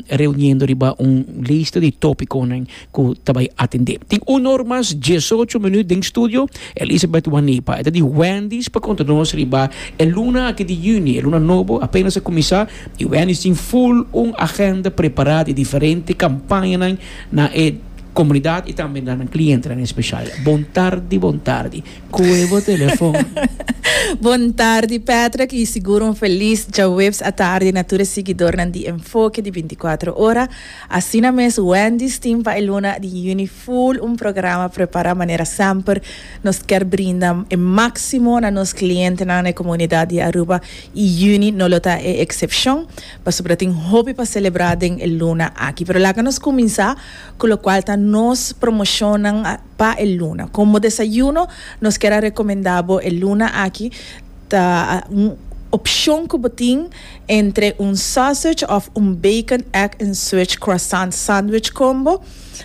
reuniendo riba un lista di tópikonan ku ta bai atendé. Tin un or mas diesocho minüt den studio Elisabeth Wanipa. E ta di Wendy's pa konta nos riba e luna aki di yüni, e luna nobo apénas a kuminsá i Wendy's tin ful un agenda prepará di diferente kampañanan na e komunidat i tambe na nan klientenan espeshal. Bon tardi, bon tardi. Kue bo telefon? Bon tardi Patrick y sigur un felis djaweps atardi na tur e siguidornan di Enfoke di binti kuater ora. Asina mes Wendy's tin pa e luna di Juni full un programa prepara manera semper nos kier brinda e maximo na nos clientenan na e comunidad di Aruba y Juni no lo ta e excepcion pasobra tin hopi pa celebra den e luna aki. Pero laga nos cuminsa cu locual ta nos promocionnan. Pa e luna. Como desayuno nos kier a recomenda bo e luna aki ta un opcion cu bo tin entre un sausage of un bacon egg and switch croissant sandwich combo.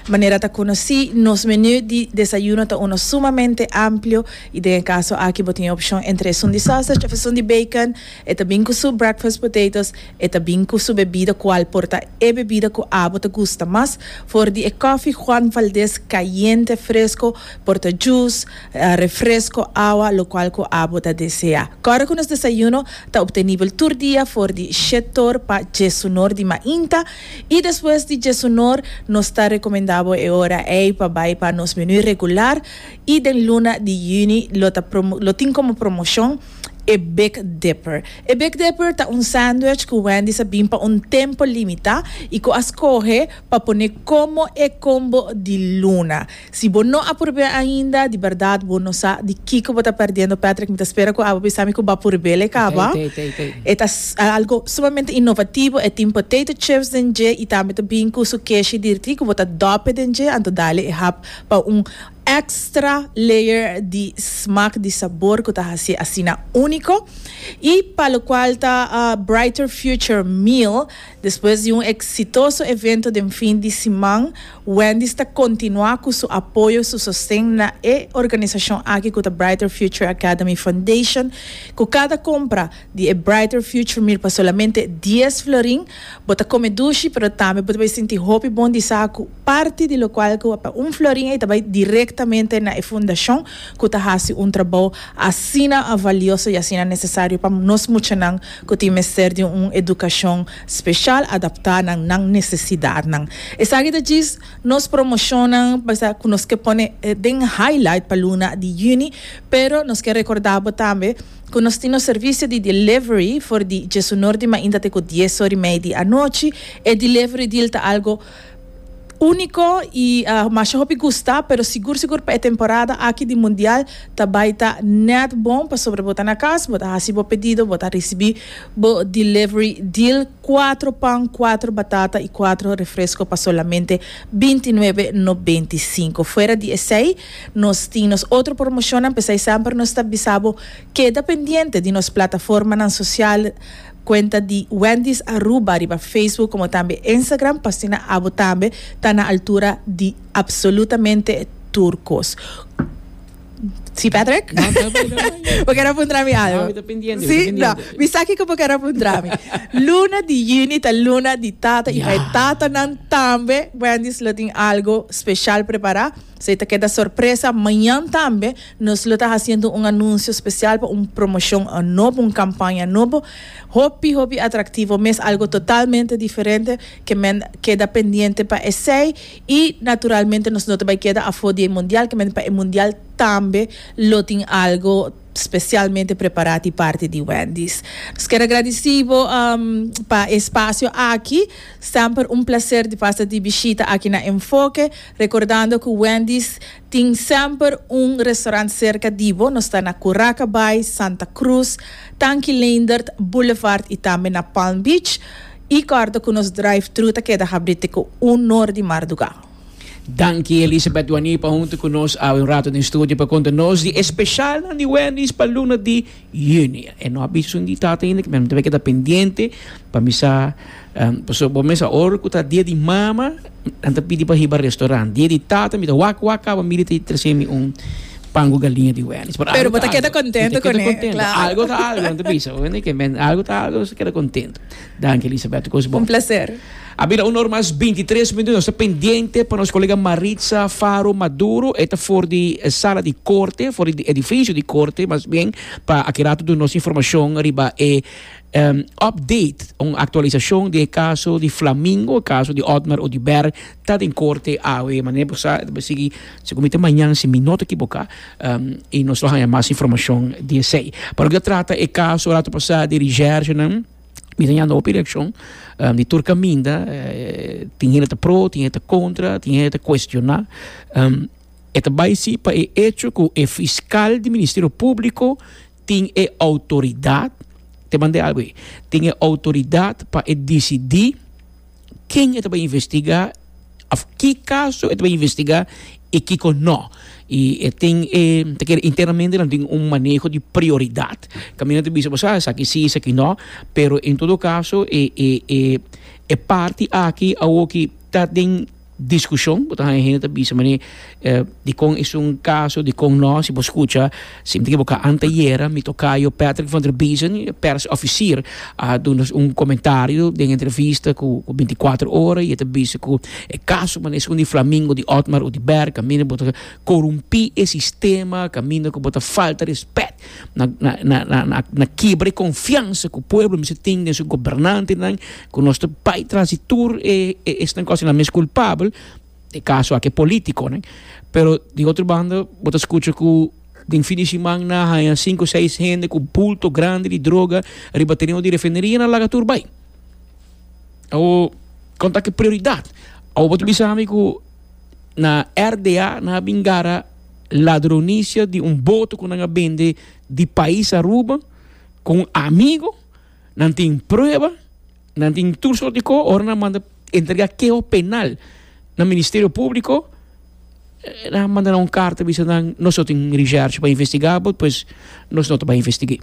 Manera ta conoci nos menu di desayuno ta uno sumamente amplio y den e caso aki bo tin e opcion entre esun di sausage of esun di bacon. E ta bin ku su breakfast potatoes, e ta bin ku su bebida kual por ta e bebida ku abo ta gusta mas, for di e koffie Juan Valdez kayente fresko por ta juice, refresko, awa, lokual ku abo ta desea. Kòrda ku nos desayuno ta optenibel tur dia for di Shetor pa djesunor di mainta i despues di djesunor nos ta rekomendá bo e ora ei pa bai pa nos menu regular i den luna di Juni lo ta lo tin komo promoshon E Big Dipper E Big Dipper ta un sandwich cu Wendy's a bin pa un tempo limita y cu a scoge pa pone como e combo di luna. Si bo no a purbe ainda, di berdad bo no sa di kico bo ta perdiendo, Patrick. Mi ta spera cu abo bisa mi cu b'a purbe lei caba. E ta algo sumamente innovativo. E tin potato chips den dje y tambe ta bin cu su keshi di trigo. Bo ta dope den dje, anto dale e hap pa un. extra layer di smak di sabor ku ta hasié asina úniko i pa lokual ta Brighter Future Meal. Despues di un eksitoso evento den fin di siman, Wendy's ta kontinuá ku su apoyo, su sosten na e organisashon aki ku ta Brighter Future Academy Foundation, ku kada kompra di e Brighter Future Meal pa solamente dies florin, bo ta kome dushi pero tambe bo ta bai sinti hopi bon di sa ku. parti di lokual ku a pa un florin ei ta bai direktamente na e fundashon ku ta hasi un trabou asina valioso i asina nesesario pa nos muchanan ku tin mester di un edukashon speshal adaptá na nan nesesidatnan. Esaki ta djis nos promoshonnan pasobra ku nos ke pone den highlight pa luna di yüni, pero nos ke rekordá bo tambe ku nos tin nos servisio di delivery for di djesunor di mainta te ku dies or i mei di anochi. E delivery deal ta algo. Úniko i masha hopi gusta, pero sigur sigur pa e temporada aki di Mundial ta bai ta nèt bon pasobra bo ta na kas, bo ta hasi bo pedido, bo ta risibí bo delivery deal, kuatro pan, kuatro batata i kuatro refresko pa solamente binti nuebe nobenta i sinku. Fuera di esei nos tin nos otro promoshonnan, p'esei semper nos ta bisa bo keda pendiente di nos plataformanan sosial. Cuenta di Wendy's Aruba riba Facebook como tambe Instagram pa asina abo tambe ta na altura di absolutamente tur cos. Si Patrick? No, ta bai, ta bai. Bo quiero puntra mi algo. No, mi ta pendiente, mi ta Sí, no. pendiente. Mi sa kiko bo quiero puntra mi. Luna di juni ta luna di tata y pa e Ya. tatanan tambe Wendy's lo tin algo special prepara. Si ta keda sorpresa, mañan tambe nos lo ta haciendo un anuncio special pa un promoción nobo, un campaña nobo, hopi hopi atractivo mes, algo totalmente diferente ke men keda pendiente pa esey y naturalmente nos no ta bay keda afo di e mundial ke men pa e mundial tambe lo tin algo specialmente prepara di parti di Wendy's. Nos ker agradeci bo pa e espacio aki, semper un placer di pasa di bishita aki na Enfoke. Recordando cu Wendy's tin semper un restaurant cerca di bo, nos ta na Curaca Bay, Santa Cruz, Tanki Leendert Boulevard y tambe na Palm Beach. Y corda cu nos drive-thru ta keda habri te cu un or di marduga. Danki Elisabeth Wani pa hunto cu nos awe un rato den studio pa conta nos di e specialnan di Wendy's pa luna di Juni. E no a bisa esun di tata ainda, kimer mi ta bay keda pendiente pa mi sa. Pasobra bo mester ora ku ta dia di mama nan ta pidi pa hiba restaurant. Dia di tata mi ta wak wak kaba mi di ta trese mi un pan ku galiña di Wendy's. Pero algo ta algo. Mi ta keda kontento ku e. Algo ta algo nan ta bisa. Bo yenta ke men algo ta algo mester keda kontento. Danki Elisabet. Kos bon. Un plaser. A bira una ora mas binti tres minuto. Nos ta pendiente pa nos kolega Maritza Faro Maduro. E ta for di sala di korte, for di edifisio di korte mas bien pa aki rato duna nos informashon riba e Um update, un actualisacion di e caso di Flamingo, e caso di Otmar Oduber ta den corte awe, manera bo sa ta por sigui segun mi ta mañan si mi no ta ekiboka um y nos lo haña mas informacion di esey. Pa loke ta trata e caso rato pasa di Regerchenan mi ta yanda hopi reaccion um di tur caminda tin hende ta pro tin hende ta contra tin hende ta cuestiona um e ta bay si pa e hecho cu e fiscal di Ministerio Publico tin e outoridat, te manda e algo ei, tin e outoridat pa e disidí ken e ta bai investigá òf ki kaso e ta bai investigá i kiko nò. I e tin e, ta kere internamente nan tin un maneho di prioridat, kaminda nan ta bisa bo sa esaki sí, esaki nò, pero en todo kaso e parti aki awor ki ta den Discusion, bo ta haña hende ta bisa mane dikon esun caso, dikon no, si bo scucha sinti ke bo ka antayera mi tocayo Patrick van der Biezen, pers officier, a duna un comentario den entrevista cu binticuatro ora y e ta bisa cu e caso mane esun di Flamingo, di Otmar of di Bergh caminda bo ta corumpi e sistema, caminda cu bo ta falta respect na na na na na kibra e confiansa cu pueblo mester tin den su gobernantenan. Cu nos ta bay tras di tur e esnan cos enan mes culpabel, e caso aki e politiconan. Pero di otro banda bo ta scucha cu den fin di simannan a haya cinco, seis hende cu bulto grandi di droga riba tereno di refineria enan laga tur bay. Awor, con ta aki prioridad? Awor bo ta bisa ami cu na RDA nan a bin gara ladronicia di un boto cu nan a bende di pais Aruba cu un amigo? Nan tin prueba, nan tin tur soort di ko, ora nan manda entrega keho penal na Ministerio Públiko, eh, nan a manda nan un karta bisa nan, nos no tin recherche pa investigá bo, pues nos no ta bai investig'é.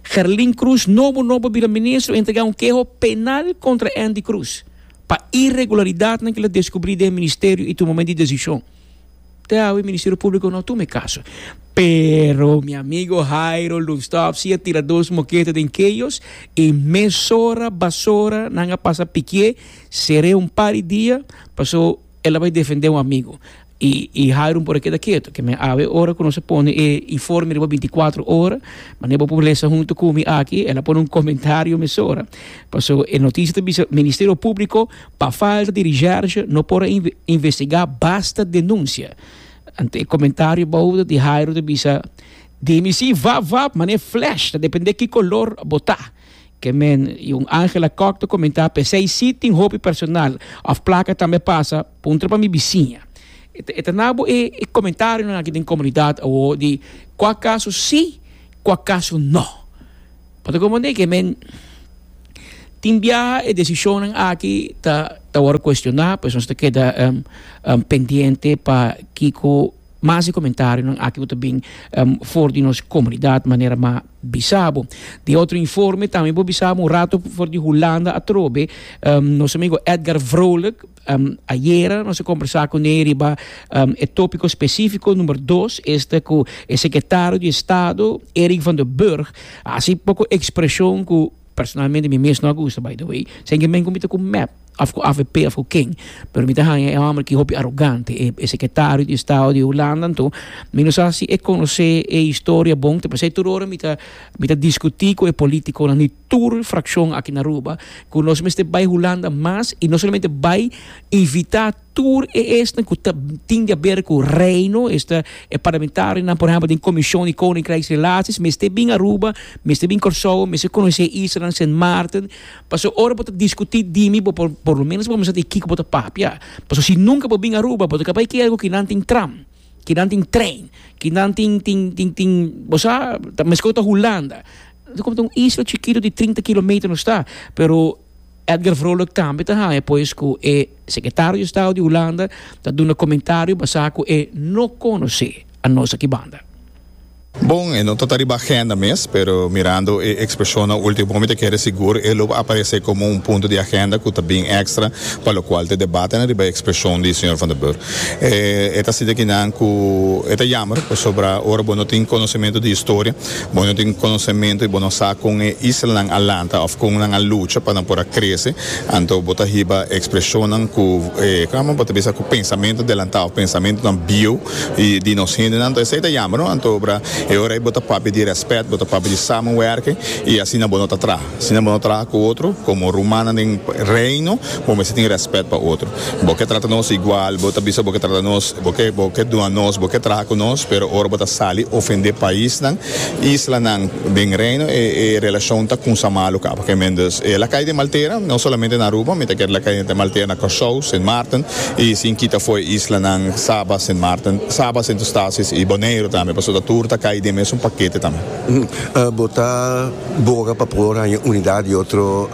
Gerlin Cruz nobo nobo bira ministro a entregá un keho penal kontra Andy Cruz pa iregularidadnan ku el a deskubrí den e ministerio i tumamen di desishon. te awe Ministerio Públiko no tuma e kaso. Pero mi amigo Hairo Loonstaff si a tira dos moketa den keyos i mesora basora nan a pasa pikié seré un par di dia pasó el a bai defendé un amigo i i Hairo por a keda keto ke men awe ora ku nos a pone e informe riba binti kuater ora manera bo por lesa huntu ku mi aki el a pone un komentario mesora paso e notisia ta bisa Ministerio Públiko Pa falta di recherche no por a investigá basta denunsia. Anto e komentario bou ta di Jairo ta bisa, Di mi si vap vap manera flash, ta dependé ki kolor bo ta. Ke men i un Angela Kok ta komentá, P'esei si tin hopi personal òf plaka tambe pasa, puntra pa mi bisiña. E ta na bo e komentarionan aki den komunidat awor di kua kaso si, kua kaso no. Pa ta comprende ke men tin biaha e decisionnan aki ta ta wòrdu cuestiona pues nos ta keda pendiente pa kiko mas di comentarionan aki ku ta bin for di nos comunidad manera ma bisa bo. Tin otro informe tambe bo bisa bo un rato for di Hulanda atrobe nos amigo Edgar Vrolijk. Um, ayera nos a conversa cu ne riba um, e tópico específico número 2, este cu e secretario de Estado, Erik van den Burg, hace poco expresión cu personalmente mi mes no gusta, by the way. Zijn geen men comité com MEP, of com AVP, of com King. Pero mi te hanja e hombre ki hopi arrogante. E, e secretario di Estado di Holanda, to. Mi no sa si e conoce e historia bon, te pasé turora mi ta, mi ta discuti co e politico na ni tur frakshon aki na Aruba ku nos mester bai Hulanda mas i no solamente bai invitá tur e esnan ku ta tin di a ber ku Reino, esta e parlamentarionan por ehèmpel den Komishon di Koninkrijksrelasies mester bin Aruba, mester bin Kòrsou, mester konosé e islanan Sint Maarten, paso ora bo ta diskutí dimi bo por por lo menos bo mester sabí di kiko bo ta papia, paso si nunka bo bin Aruba bo ta kaba i kere ku kinan tin tram. Kinan tin trein, kinan tin tin tin tin bo sa ta meskos ta Hulanda. Nos komo ta un isla chikito di trinta kilometer nos ta, pero Edgar Vrolijk tambe ta haña pues ku e sekretario di estado di Hulanda ta duna komentario basá ku e no konosé anos aki banda. Bon, e no ta ta riba agenda mes, pero mirando e expresionnan ultimo mi ta kere sigur e lo aparece como un punto di agenda cu ta bin extra pa locual ta debatenan riba e expresion di señor Van der Burg. E ta asina aki nan cu e ta jammer pasobra ora bo no tin conocemento di historia, bo no tin conocemento y bo no sa con e islanan a lanta of con nan a lucha pa nan por a crece, anto bo ta hiba expresionnan cu, como bo ta bisa cu pensamento adelantado, pensamentonan bieuw. y di nos hende nan, esey ta yamber no, anto obra e ora ey bo ta papia di respet, bo ta papia di samenwerken y asina bo no ta traha, asina bo no traha cu otro, como rumannan den Reino bo mester tin respet pa otro, bo ke trata nos igual, bo ta bisa bo ke trata nos, bo ke bo ke duna nos, bo ke traha cu nos, pero ora bo ta sali ofende paisnan islanan den Reino e e relashon ta kunsa malu kaba ke men dus e lakay den Maltera no solamente na Aruba mi ta kere lakay den Maltera na Kòrsou Sint Maarten i sin kita foe islanan Saba Sint Maarten Saba Sint Eustatius i Boneiru tambe paso ta tur ta kay den mesun pakete tambe. Bo ta boga pa por haña unidat di otro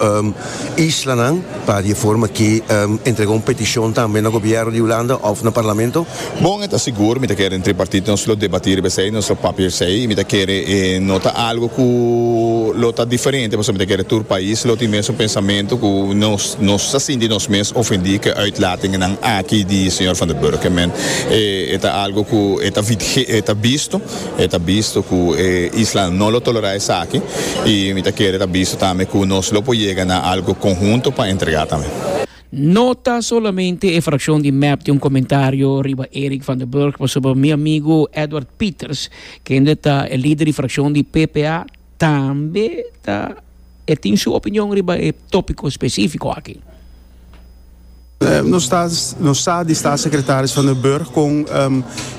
islanan pa di e forma aki entrega un petishon tambe na gobièrnu di Hulanda òf na Parlamento? Bon, e ta sigur, mi ta kere den tripartit nos lo debatí riba esei, nos lo papia esei, y mi ta kere e no ta algo ku lo ta diferente, pasobra mi ta kere tur pais lo tin mesun pensamentu ku nos, nos ta sinti nos mes ofendí ku e uitlatingennan aki di señor Van der Burg. E men, e, e ta algo ku e ta vide, e ta bisto, e ta bisto ku e islanan no lo tolerá esaki, y mi ta kere ta bisto tambe ku nos lo por yega na algo konhunto pa entregá tambe. No ta solamente e frakshon di mep tin un komentario riba Eric van den Burg, pasobra mi amigu Edward Pieters, kende ta e lider di frakshon di PPA, tambe ta e tin su opinion riba e topiko spesifiko aki. Nos sa di Statssekretaris van den Burg kon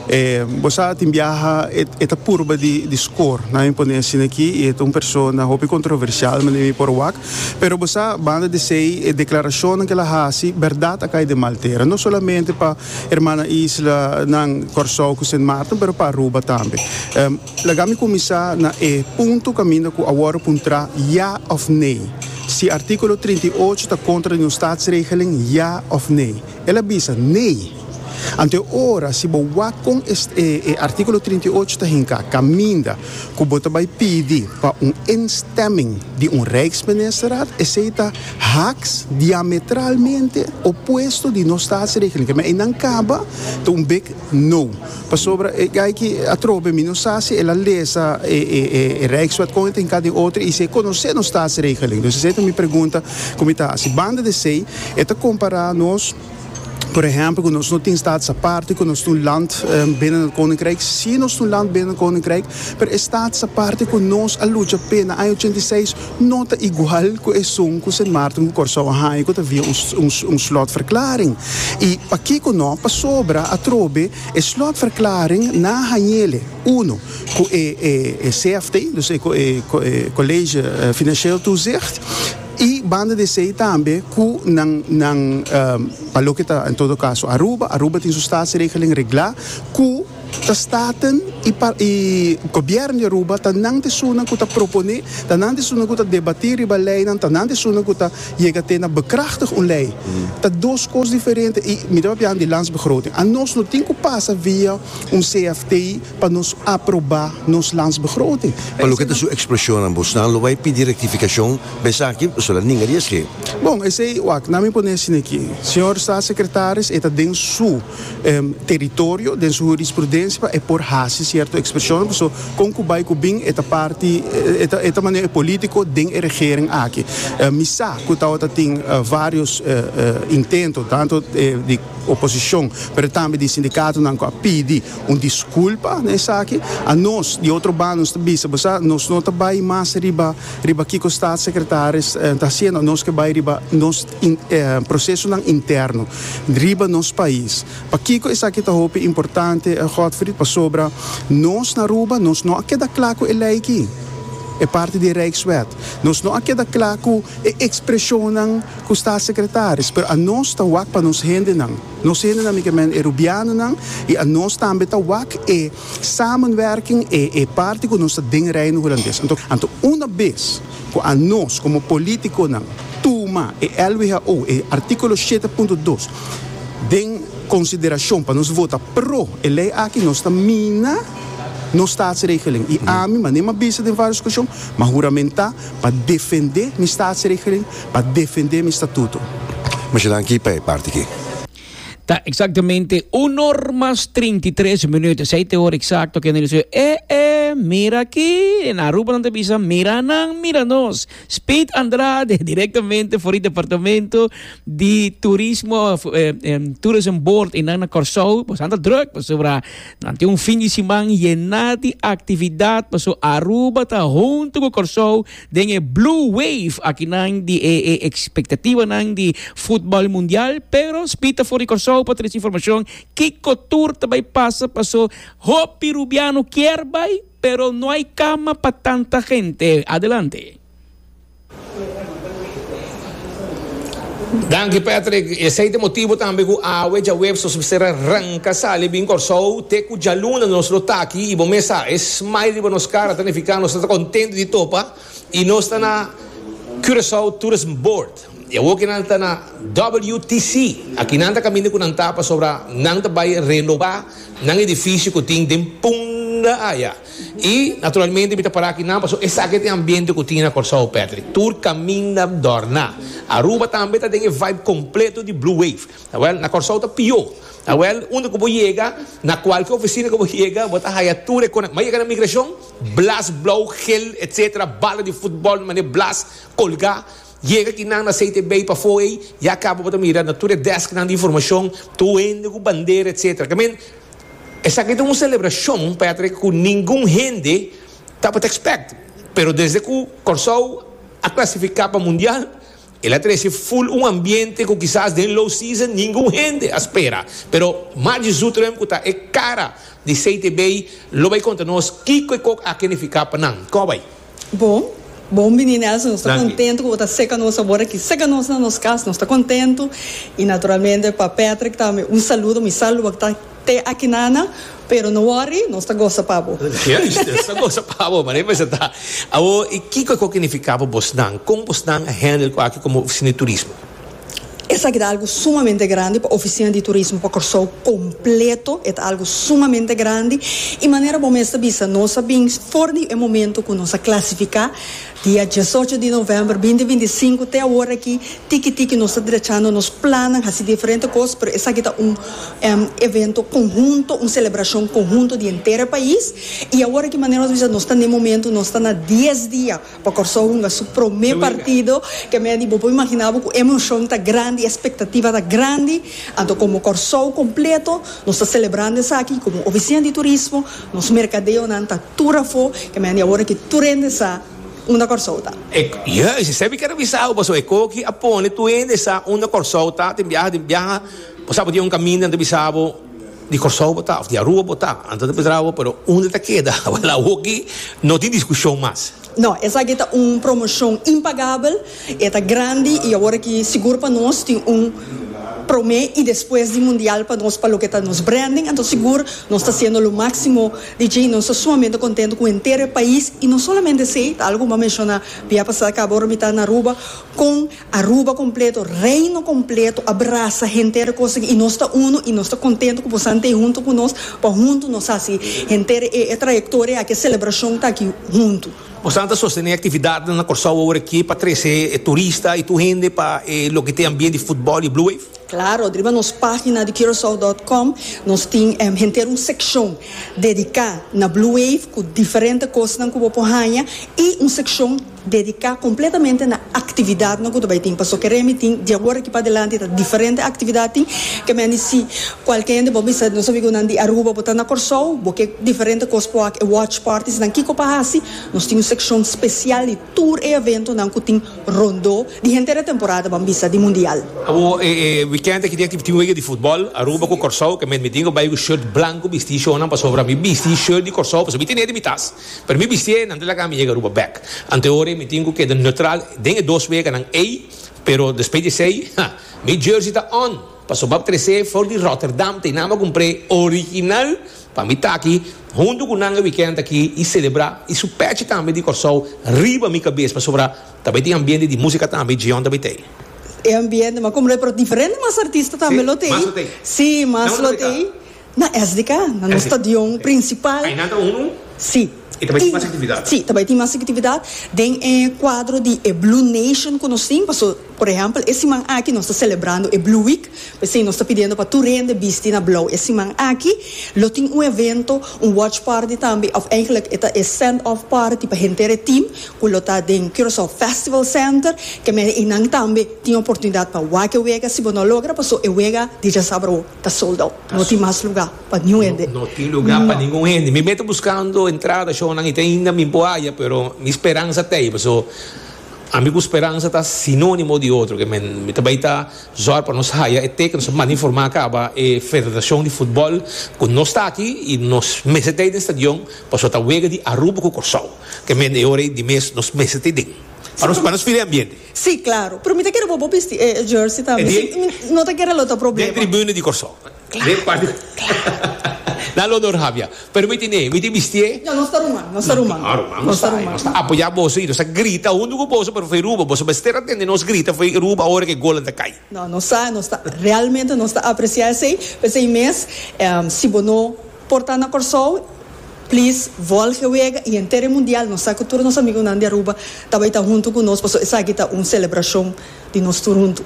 e, bo sa, tin biaha e ta purba di skor. Nan mi pone asina aki i e ta un persona hopi kontroversial, manera mi por wak. Pero bo sa, banda di esei, e declaracionnan cu el a haci, berdad a cay den mal tera. No solamente pa hermana Isla nan, Corsou cu Sint Maarten, pero pa Aruba tambe. Laga mi cuminsa na e punto caminda cu a worde puntra ya of nee. Si articulo trinta i ocho ta contra di un Staatsregeling, ya of nee? El a bisa, nee! Anto e ora si bo wak kon e artíkulo trinta i ocho ta hinká kaminda ku bo ta bai pidi pa un instemming di un Rijksministerraad, esei ta haaks, diametralmente opuesto, di nos Staatsregeling. Kende einan kaba ta un big no. Pasobra e gayki atrobe mi no sa si el a lesa e Rijkswet kon e ta hinká den otro i si e konosé nos Staatsregeling. Dus esei ta mi pregunta ku mi ta hasi. Banda di esei e ta kompará nos. Por ehempel, ku nos no tin stats aparte, ku nos ta un land binnen nan koninkryk. Sí, nos ta un land binnen nan koninkryk, pero e stats aparte ku nos a lucha p'e na aña ochenta i seis no ta igual ku esun ku Sint Maarten ku Kòrsou a haña ku ta via un slotverklaring. I pakiko no? Pasobra atrobe e slotverklaring nan a hañ'el'e, uno, ku e CFT, dus ku e College Financieel Toezicht, Y banda di esey tambe cu nan nan pa loke ta en todo caso Aruba, Aruba tin su statsregeling regla cu ta staten y pa y gobierno di Aruba ta nan di esunnan cu ta propone, ta nan di esunnan cu ta debati riba leynan, ta nan di esunnan cu ta yega te na bekrachtig un ley. Ta dos cos diferente y mi ta papia di Landsbegroting. Anos no tin cu pasa via un CFT. Pa nos aprobá nos landsbegroting. Pa loke ta su ekspreshonnan, bosnan lo bai pidi rektifikashon pa esaki? Boso la ninga di esei. Bon, esei, wak, nan mi pone asina aki. Señor Staatssecretaris, e ta den su teritorio, den su hurisprudensia pa e por hasi sierto ekspreshonnan, paso kon ku bai ku bin e ta parti, e ta manera e polítiko den e regering aki. Mi sa ku tabata tin vários intentonan, tanto di oposishon, pero tambe di sindikatonan ku a pidi. Un disculpa na esaki. A nos di otro banda nos ta bisa bo sa nos no ta bai mas riba riba kiko staatssecretaris ta haciendo nos ke bai riba nos procesonan interno riba nos pais. Pakiko esaki ta hopi importante Godfrid pasobra nos na Aruba nos no a keda cla cu e ley ki e parti di e Rijkswet. Nos no a keda cla cu e expresionnan cu staatssecretaris pero a nos ta wak pa nos hendenan. Nos hende na Micamen e Rubianonan y a nos tambe ta wak e samenwerking e e parti cu nos ta den Reino Hulandes. Anto, anto una bes cu a nos como politiconan tuma e LWHO e articulo shete punto dos den consideracion pa nos vota pro e ley aki nos ta mina nos Statsregeling y ami manera m'abisti den varios ocasion m'a huramentá pa defende mi Statsregeling Pa defende mi statuto. Mashina aki pa e parti aki. Ta exactamente uno or mas trinta i tres minuut. Esei t'e ora exacto kende nos dice, E e, mira aki! En Aruba nan ta bisa, Mira nan, mira nos! Speed Andrade, directamente for di Departamento di Turismo, Tourism Board einan na Corsou. Boso nan ta druk pasobra nan tin un fin di siman yena di actividad, paso Aruba ta hunto cu Corsou. den e blue wave akinan di e e ekspektativanan di futbòl mundial, pero Speed ta for di Kòrsou pa trese informashon kiko tur ta bai pasa paso hopi rubiano kier bai pero no hay kama pa tanta hente. Adelante. Danki Patrick, esei ta e motibu tambe ku awe djaweps nos mester a ranka sali bin Kòrsou, te ku djaluna nos lo ta aki i bo mes sa e smile riba nos kara ta nifiká nos ta ta kontentu di topa i nos ta na Curaçao Tourism Board i awoke nan ta na WTC aki nan ta kaminda ku nan ta pasobra nan ta bai renobá nan edifisio ku tin den punda aya. I naturalmente mi ta para akinan pasobra esaki e tin ambiente ku tin na Kòrsou, Patrick. Tur kaminda dòrna. Aruba tambe ta den e vibe kompleto di Blue Wave. Awèl, na Kòrsou ta pió. Awèl, unda ku bo yega, na kualke ofisina ku bo yega, bo ta haya tur e kona. Bo a yega na migrashon, blas blou, gel, etsetera, bala di futbòl mané blas kolgá. Yega tin nan na seite bay pafo ey ya cabo bo ta mira na tur e desk nan di informacion tur hende cu bandera etc. I mean esaki ta un celebracion pa ya trek cu ningun hende tabata expect pero desde cu Corsou a clasifica pa mundial el a trece full un ambiente cu kisas den low season ningun hende a spera pero Margie Zutrum cu ta e cara di seite bay lo bay conta nos kico e kok a kenifica pa nan. Como bay? Bon, bon bini Nelson, nos ta kontentu ku bo ta seka nos sabor aki. Seka nos na nos kas, nos ta kontentu. I naturalmente pa Patrick tambe un saludo, mi sa lo wak ta te akinana, pero no wòri, nos ta gosa pa bo. Juist, nos ta gosa pa bo, manera i presentá. Awor, i kiko e konke nifiká pa bosnan? Kon bosnan a hèndel ku aki komo oficina di turismo? Esaki ta algu sumamente grandi pa Oficina di Turismo pa Kòrsou kompleto. E ta algu sumamente grandi. I manera bo mes ta bisa, nos a bin for di e momentu ku nos a klasifiká. Dia diesocho di novèmber binti binti sinku te awor aki, tiki tiki nos ta drechando nos plannan, hasi diferente kos, pero esaki ta un evento konhunto, un selebrashon konhunto di henter e pais. I awor aki manera nos ta bisa, nos ta na e momentu, nos ta na dies dia. Pa Kòrsou hunga su promé partido, ke medi bo por imaginá bo ku emoshon ta grandi, espektativa ta grandi. Anto komo Kòrsou kompleto nos ta selebrando esaki i komo ofisia di turismo nos merkadeonan ta tur afó, ke medi awor aki tur hende sa unda Kòrsou ta. E Yes, esei mi ker avisa bo paso e koe aki a pone tur hende sa unda Kòrsou ta. Tin biaha, tin biaha, bo sa bo tin un kaminda anto bisa bo. Di Kòrsou bo ta of di Arua bo ta? Anto ta Pedrao bo, pero unda ta keda la hoki no tin diskushon mas. No, esaki ta un promoshon impagabel, e ta grandi i awor aki sigur pa nos tin un promé i despues di mundial pa nos pa loke ta nos branding, anto sigur nos ta hasiendo lo máksimo di dje i nos ta sumamente kontentu ku henter e pais i no solamente esei, ta algu ku bo a menshoná bia pasá akaba ora mi ta na Aruba, kon Aruba completo, Reino completo a brasa henter cosa y nos ta uno y nos ta contento cu bo san tei hunto cu nos pa hunto nos haci henter e e trayectoria aki e celebracion taki hunto. Bo san ta sostene actividadnan na Corsou awor aki pa trece e turista y tur hende pa e loke ta e ambient di footbal y Blue Wave? Claro, riba nos pagina di Curaçao dot com nos tin henter un seccion dedica na Blue Wave cu diferente cosnan cu bo por haya y un seccion Dediká kompletamente na aktividatnan ku ta bai tin. Pasobra ke remi tin, di awor aki p'adelanti ta diferente aktividat tin. Ke men a di si kualke hende bo bisa, nos amigu nan di Aruba, bo ta na Kòrsou, bo ke diferente kos ku wak, e watch parties nan kiko pa hasi, nos tin un sekshon spesial di tur e eventonan ku tin rondó di henter e temporada ban bisa di mundial. Awor e wikènt aki tin tin wega di futbòl, Aruba ku Kòrsou, ke men mi tin ku bai ku short blanku bistí shownan pasobra mi bistí short di Kòrsou, pasobra mi ten'é den mi tas. Pero mi bistié, nan ta laga mi yega Aruba bek. Antehoren mi tin ku keda neutral den e dos weganan ei, pero despues di esei, ha, mi jersey ta on! Paso map kresé for di Rotterdam ta e nan m'a kumpr'é original pa mi ta aki huntu ku nan e wikènt aki i selebrá i su pèchi tambe di Kòrsou riba mi kabes pasobra ta bai tin ambiente di músika tambe Djion ta bai t'ei. E ambiente m'a kumpr'é pero diferente mas artista tambe lo t'ei. Sí, mas lo t'ei. na SDK, na nos stadion prinsipal. Ainan ta un un? Sí. I ta bai tin mas aktividat? Sí, ta bai tin mas aktividat den e kuadro di e Blue Nation ku nos tin. Paso, por ehèmpel, e siman aki nos ta selebrando e Blue Week. P'esei nos ta pidiendo pa tur hende bisti na blou e siman aki. Lo tin un evento, un watch party tambe, òf eigenlik e ta e send off party pa henter e tim ku lo ta den Curaçao Festival Center. Kèmen einan tambe tin oportunidat pa wak e wega si bo no logra paso e wega dijasabrao. Ta sold out. No tin mas luga pa niun hende. No tin luga pa ningun hende. Mi mei ta buskando entrada shownan y ta ainda mi por haya pero mi speransa ta ei paso ami cu speransa ta sinonimo di otro que men. Mi ta bay ta zorg pa nos haya e teken nos a manda informa caba e federacion di futbol cu nos ta aki y nos mester ta ei den stadion paso ta wega di Aruba cu Corsou. Ke men e ora ei di mes nos mester ta ei den pa nos feel e ambiente. Si, claro. Pero mi ta kere bo bo bisti e jersey tambe. Si mi no ta kere lo ta problema. Den tribune di Kòrsou. Claro, claro. Na lo nor Havia. Pero mi tine, mi tin bistié. Ya nos ta ruman, nos ta ruman. No, ruman nos ta. Nos ta apoyá boso i nos ta grita huntu ku boso, pero foi Ruba. Boso mester a tende nos grita foi Ruba ora ku e golnan ta kai. No, nos sa, nos ta realmente nos ta apresia esei. P'esei mes si bo no. Por ta na Kòrsou Plis vòlge wega i henter e mundial nos sa ku tur nos amigunan di Aruba ta bai ta huntu ku nos paso esaki ta un selebrashon di nos tur huntu.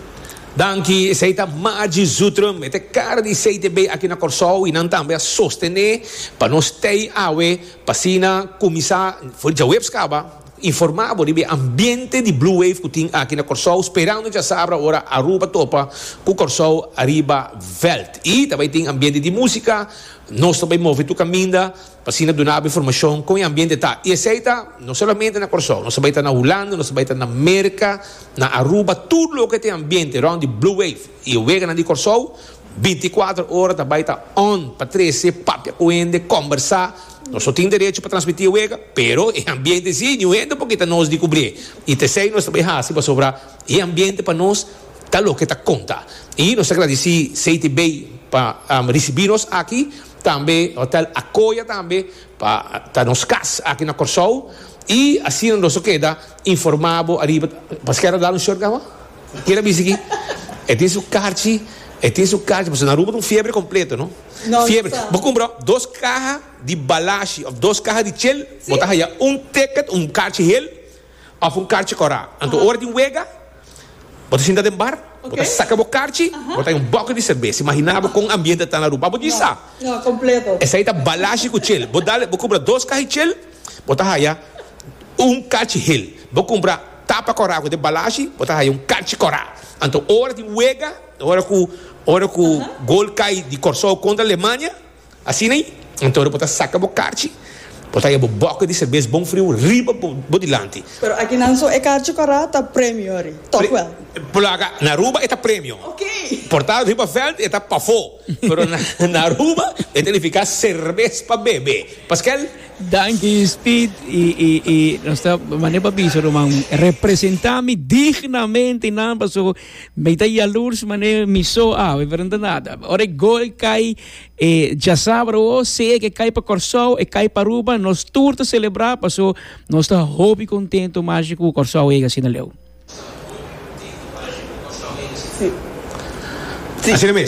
Danki, esei ta Margie Zutrum. E ta e kara di CTB aki na Kòrsou i nan tambe a sostené pa nos tei awe pa asina kuminsá for djaweps kaba. Informa bo riba e ambiente di Blue Wave cu tin aki na Corsou, sperando djasabra ora Aruba topa cu Corsou riba veld. Y ta bay tin ambiente di musica, nos ta bay move tur caminda p'asina dunabo informacion con e ambiente ta. Y esey ta no solamente na Corsou, nos ta bay ta na Hulanda, nos ta bay ta na Merca, na Aruba, tur loke ta e ambiente rond di Blue Wave y e weganan di Corsou, Binti kuater ora ta bai ta on pa trece, papia ku hende, kombersá. Nos no tin derecho pa transmití e wega, pero e ambiente sí, niun hende por kita nos di kubrié. I ta esei nos ta bai hasi pasobra e ambiente pa nos ta loke ta konta. I nos ta gradisí Seiti Bay pa risibí nos aki, tambe Hotel Akoya tambe pa ta nos kas aki na Kòrsou. I asina nos lo keda informá bo ariba. Paskei a ta dal un short kawa? Kier a bisa ki e tin su karchi, e tin su karchi, pasobra na Aruba ta un fiebre kompleto, no? Fiebre. Nonstop. Bo kumpra dos kaha di balashi òf dos kaha di chel, bo ta haya un ticket, un karchi hel òf un karchi kòrá. Anto ora tin wega, bo ta sinta den bar, bo ta saka bo karchi, bo ta haya un bòkel di serbes. Imaginá bo kon ambiente ta ta na Aruba. Abo di sa. No, kompleto. Esei ta balashi ku chel. Bo dal, bo kumpra dos kaha di chel, bo ta haya un karchi hel. Bo kumpra. Tapa kòrá ku de balashi bo ta haya un kanchi kòrá. Anto ora di wega, ora ku ora ku gol kai di Kòrsou kontra Alemania, asina ei, anto ora bo ta saka bo karchi, bo ta haya bo bòke di serbes bon friu riba bo bo dilanti. Pero akinan so e karchi kòrá ta premio ri, tòkwèl? Plaga, na Aruba e ta premio. Oké. Porta riba vèlt e ta pafó. Pero na Aruba e ta nifiká serbes pa bebe. Paskel? Danki Speed i nos ta mané pa bisa ruman representá mi dignamente nan paso mi ta yalurs mané mi so awe pero no ta nada ora e gol kai e djasabra o sea ke kai pa Kòrsou e kai pa Aruba nos tur ta selebrá paso nos ta hopi kontento mashi ku Kòrsou yega asina leu. Asina mes.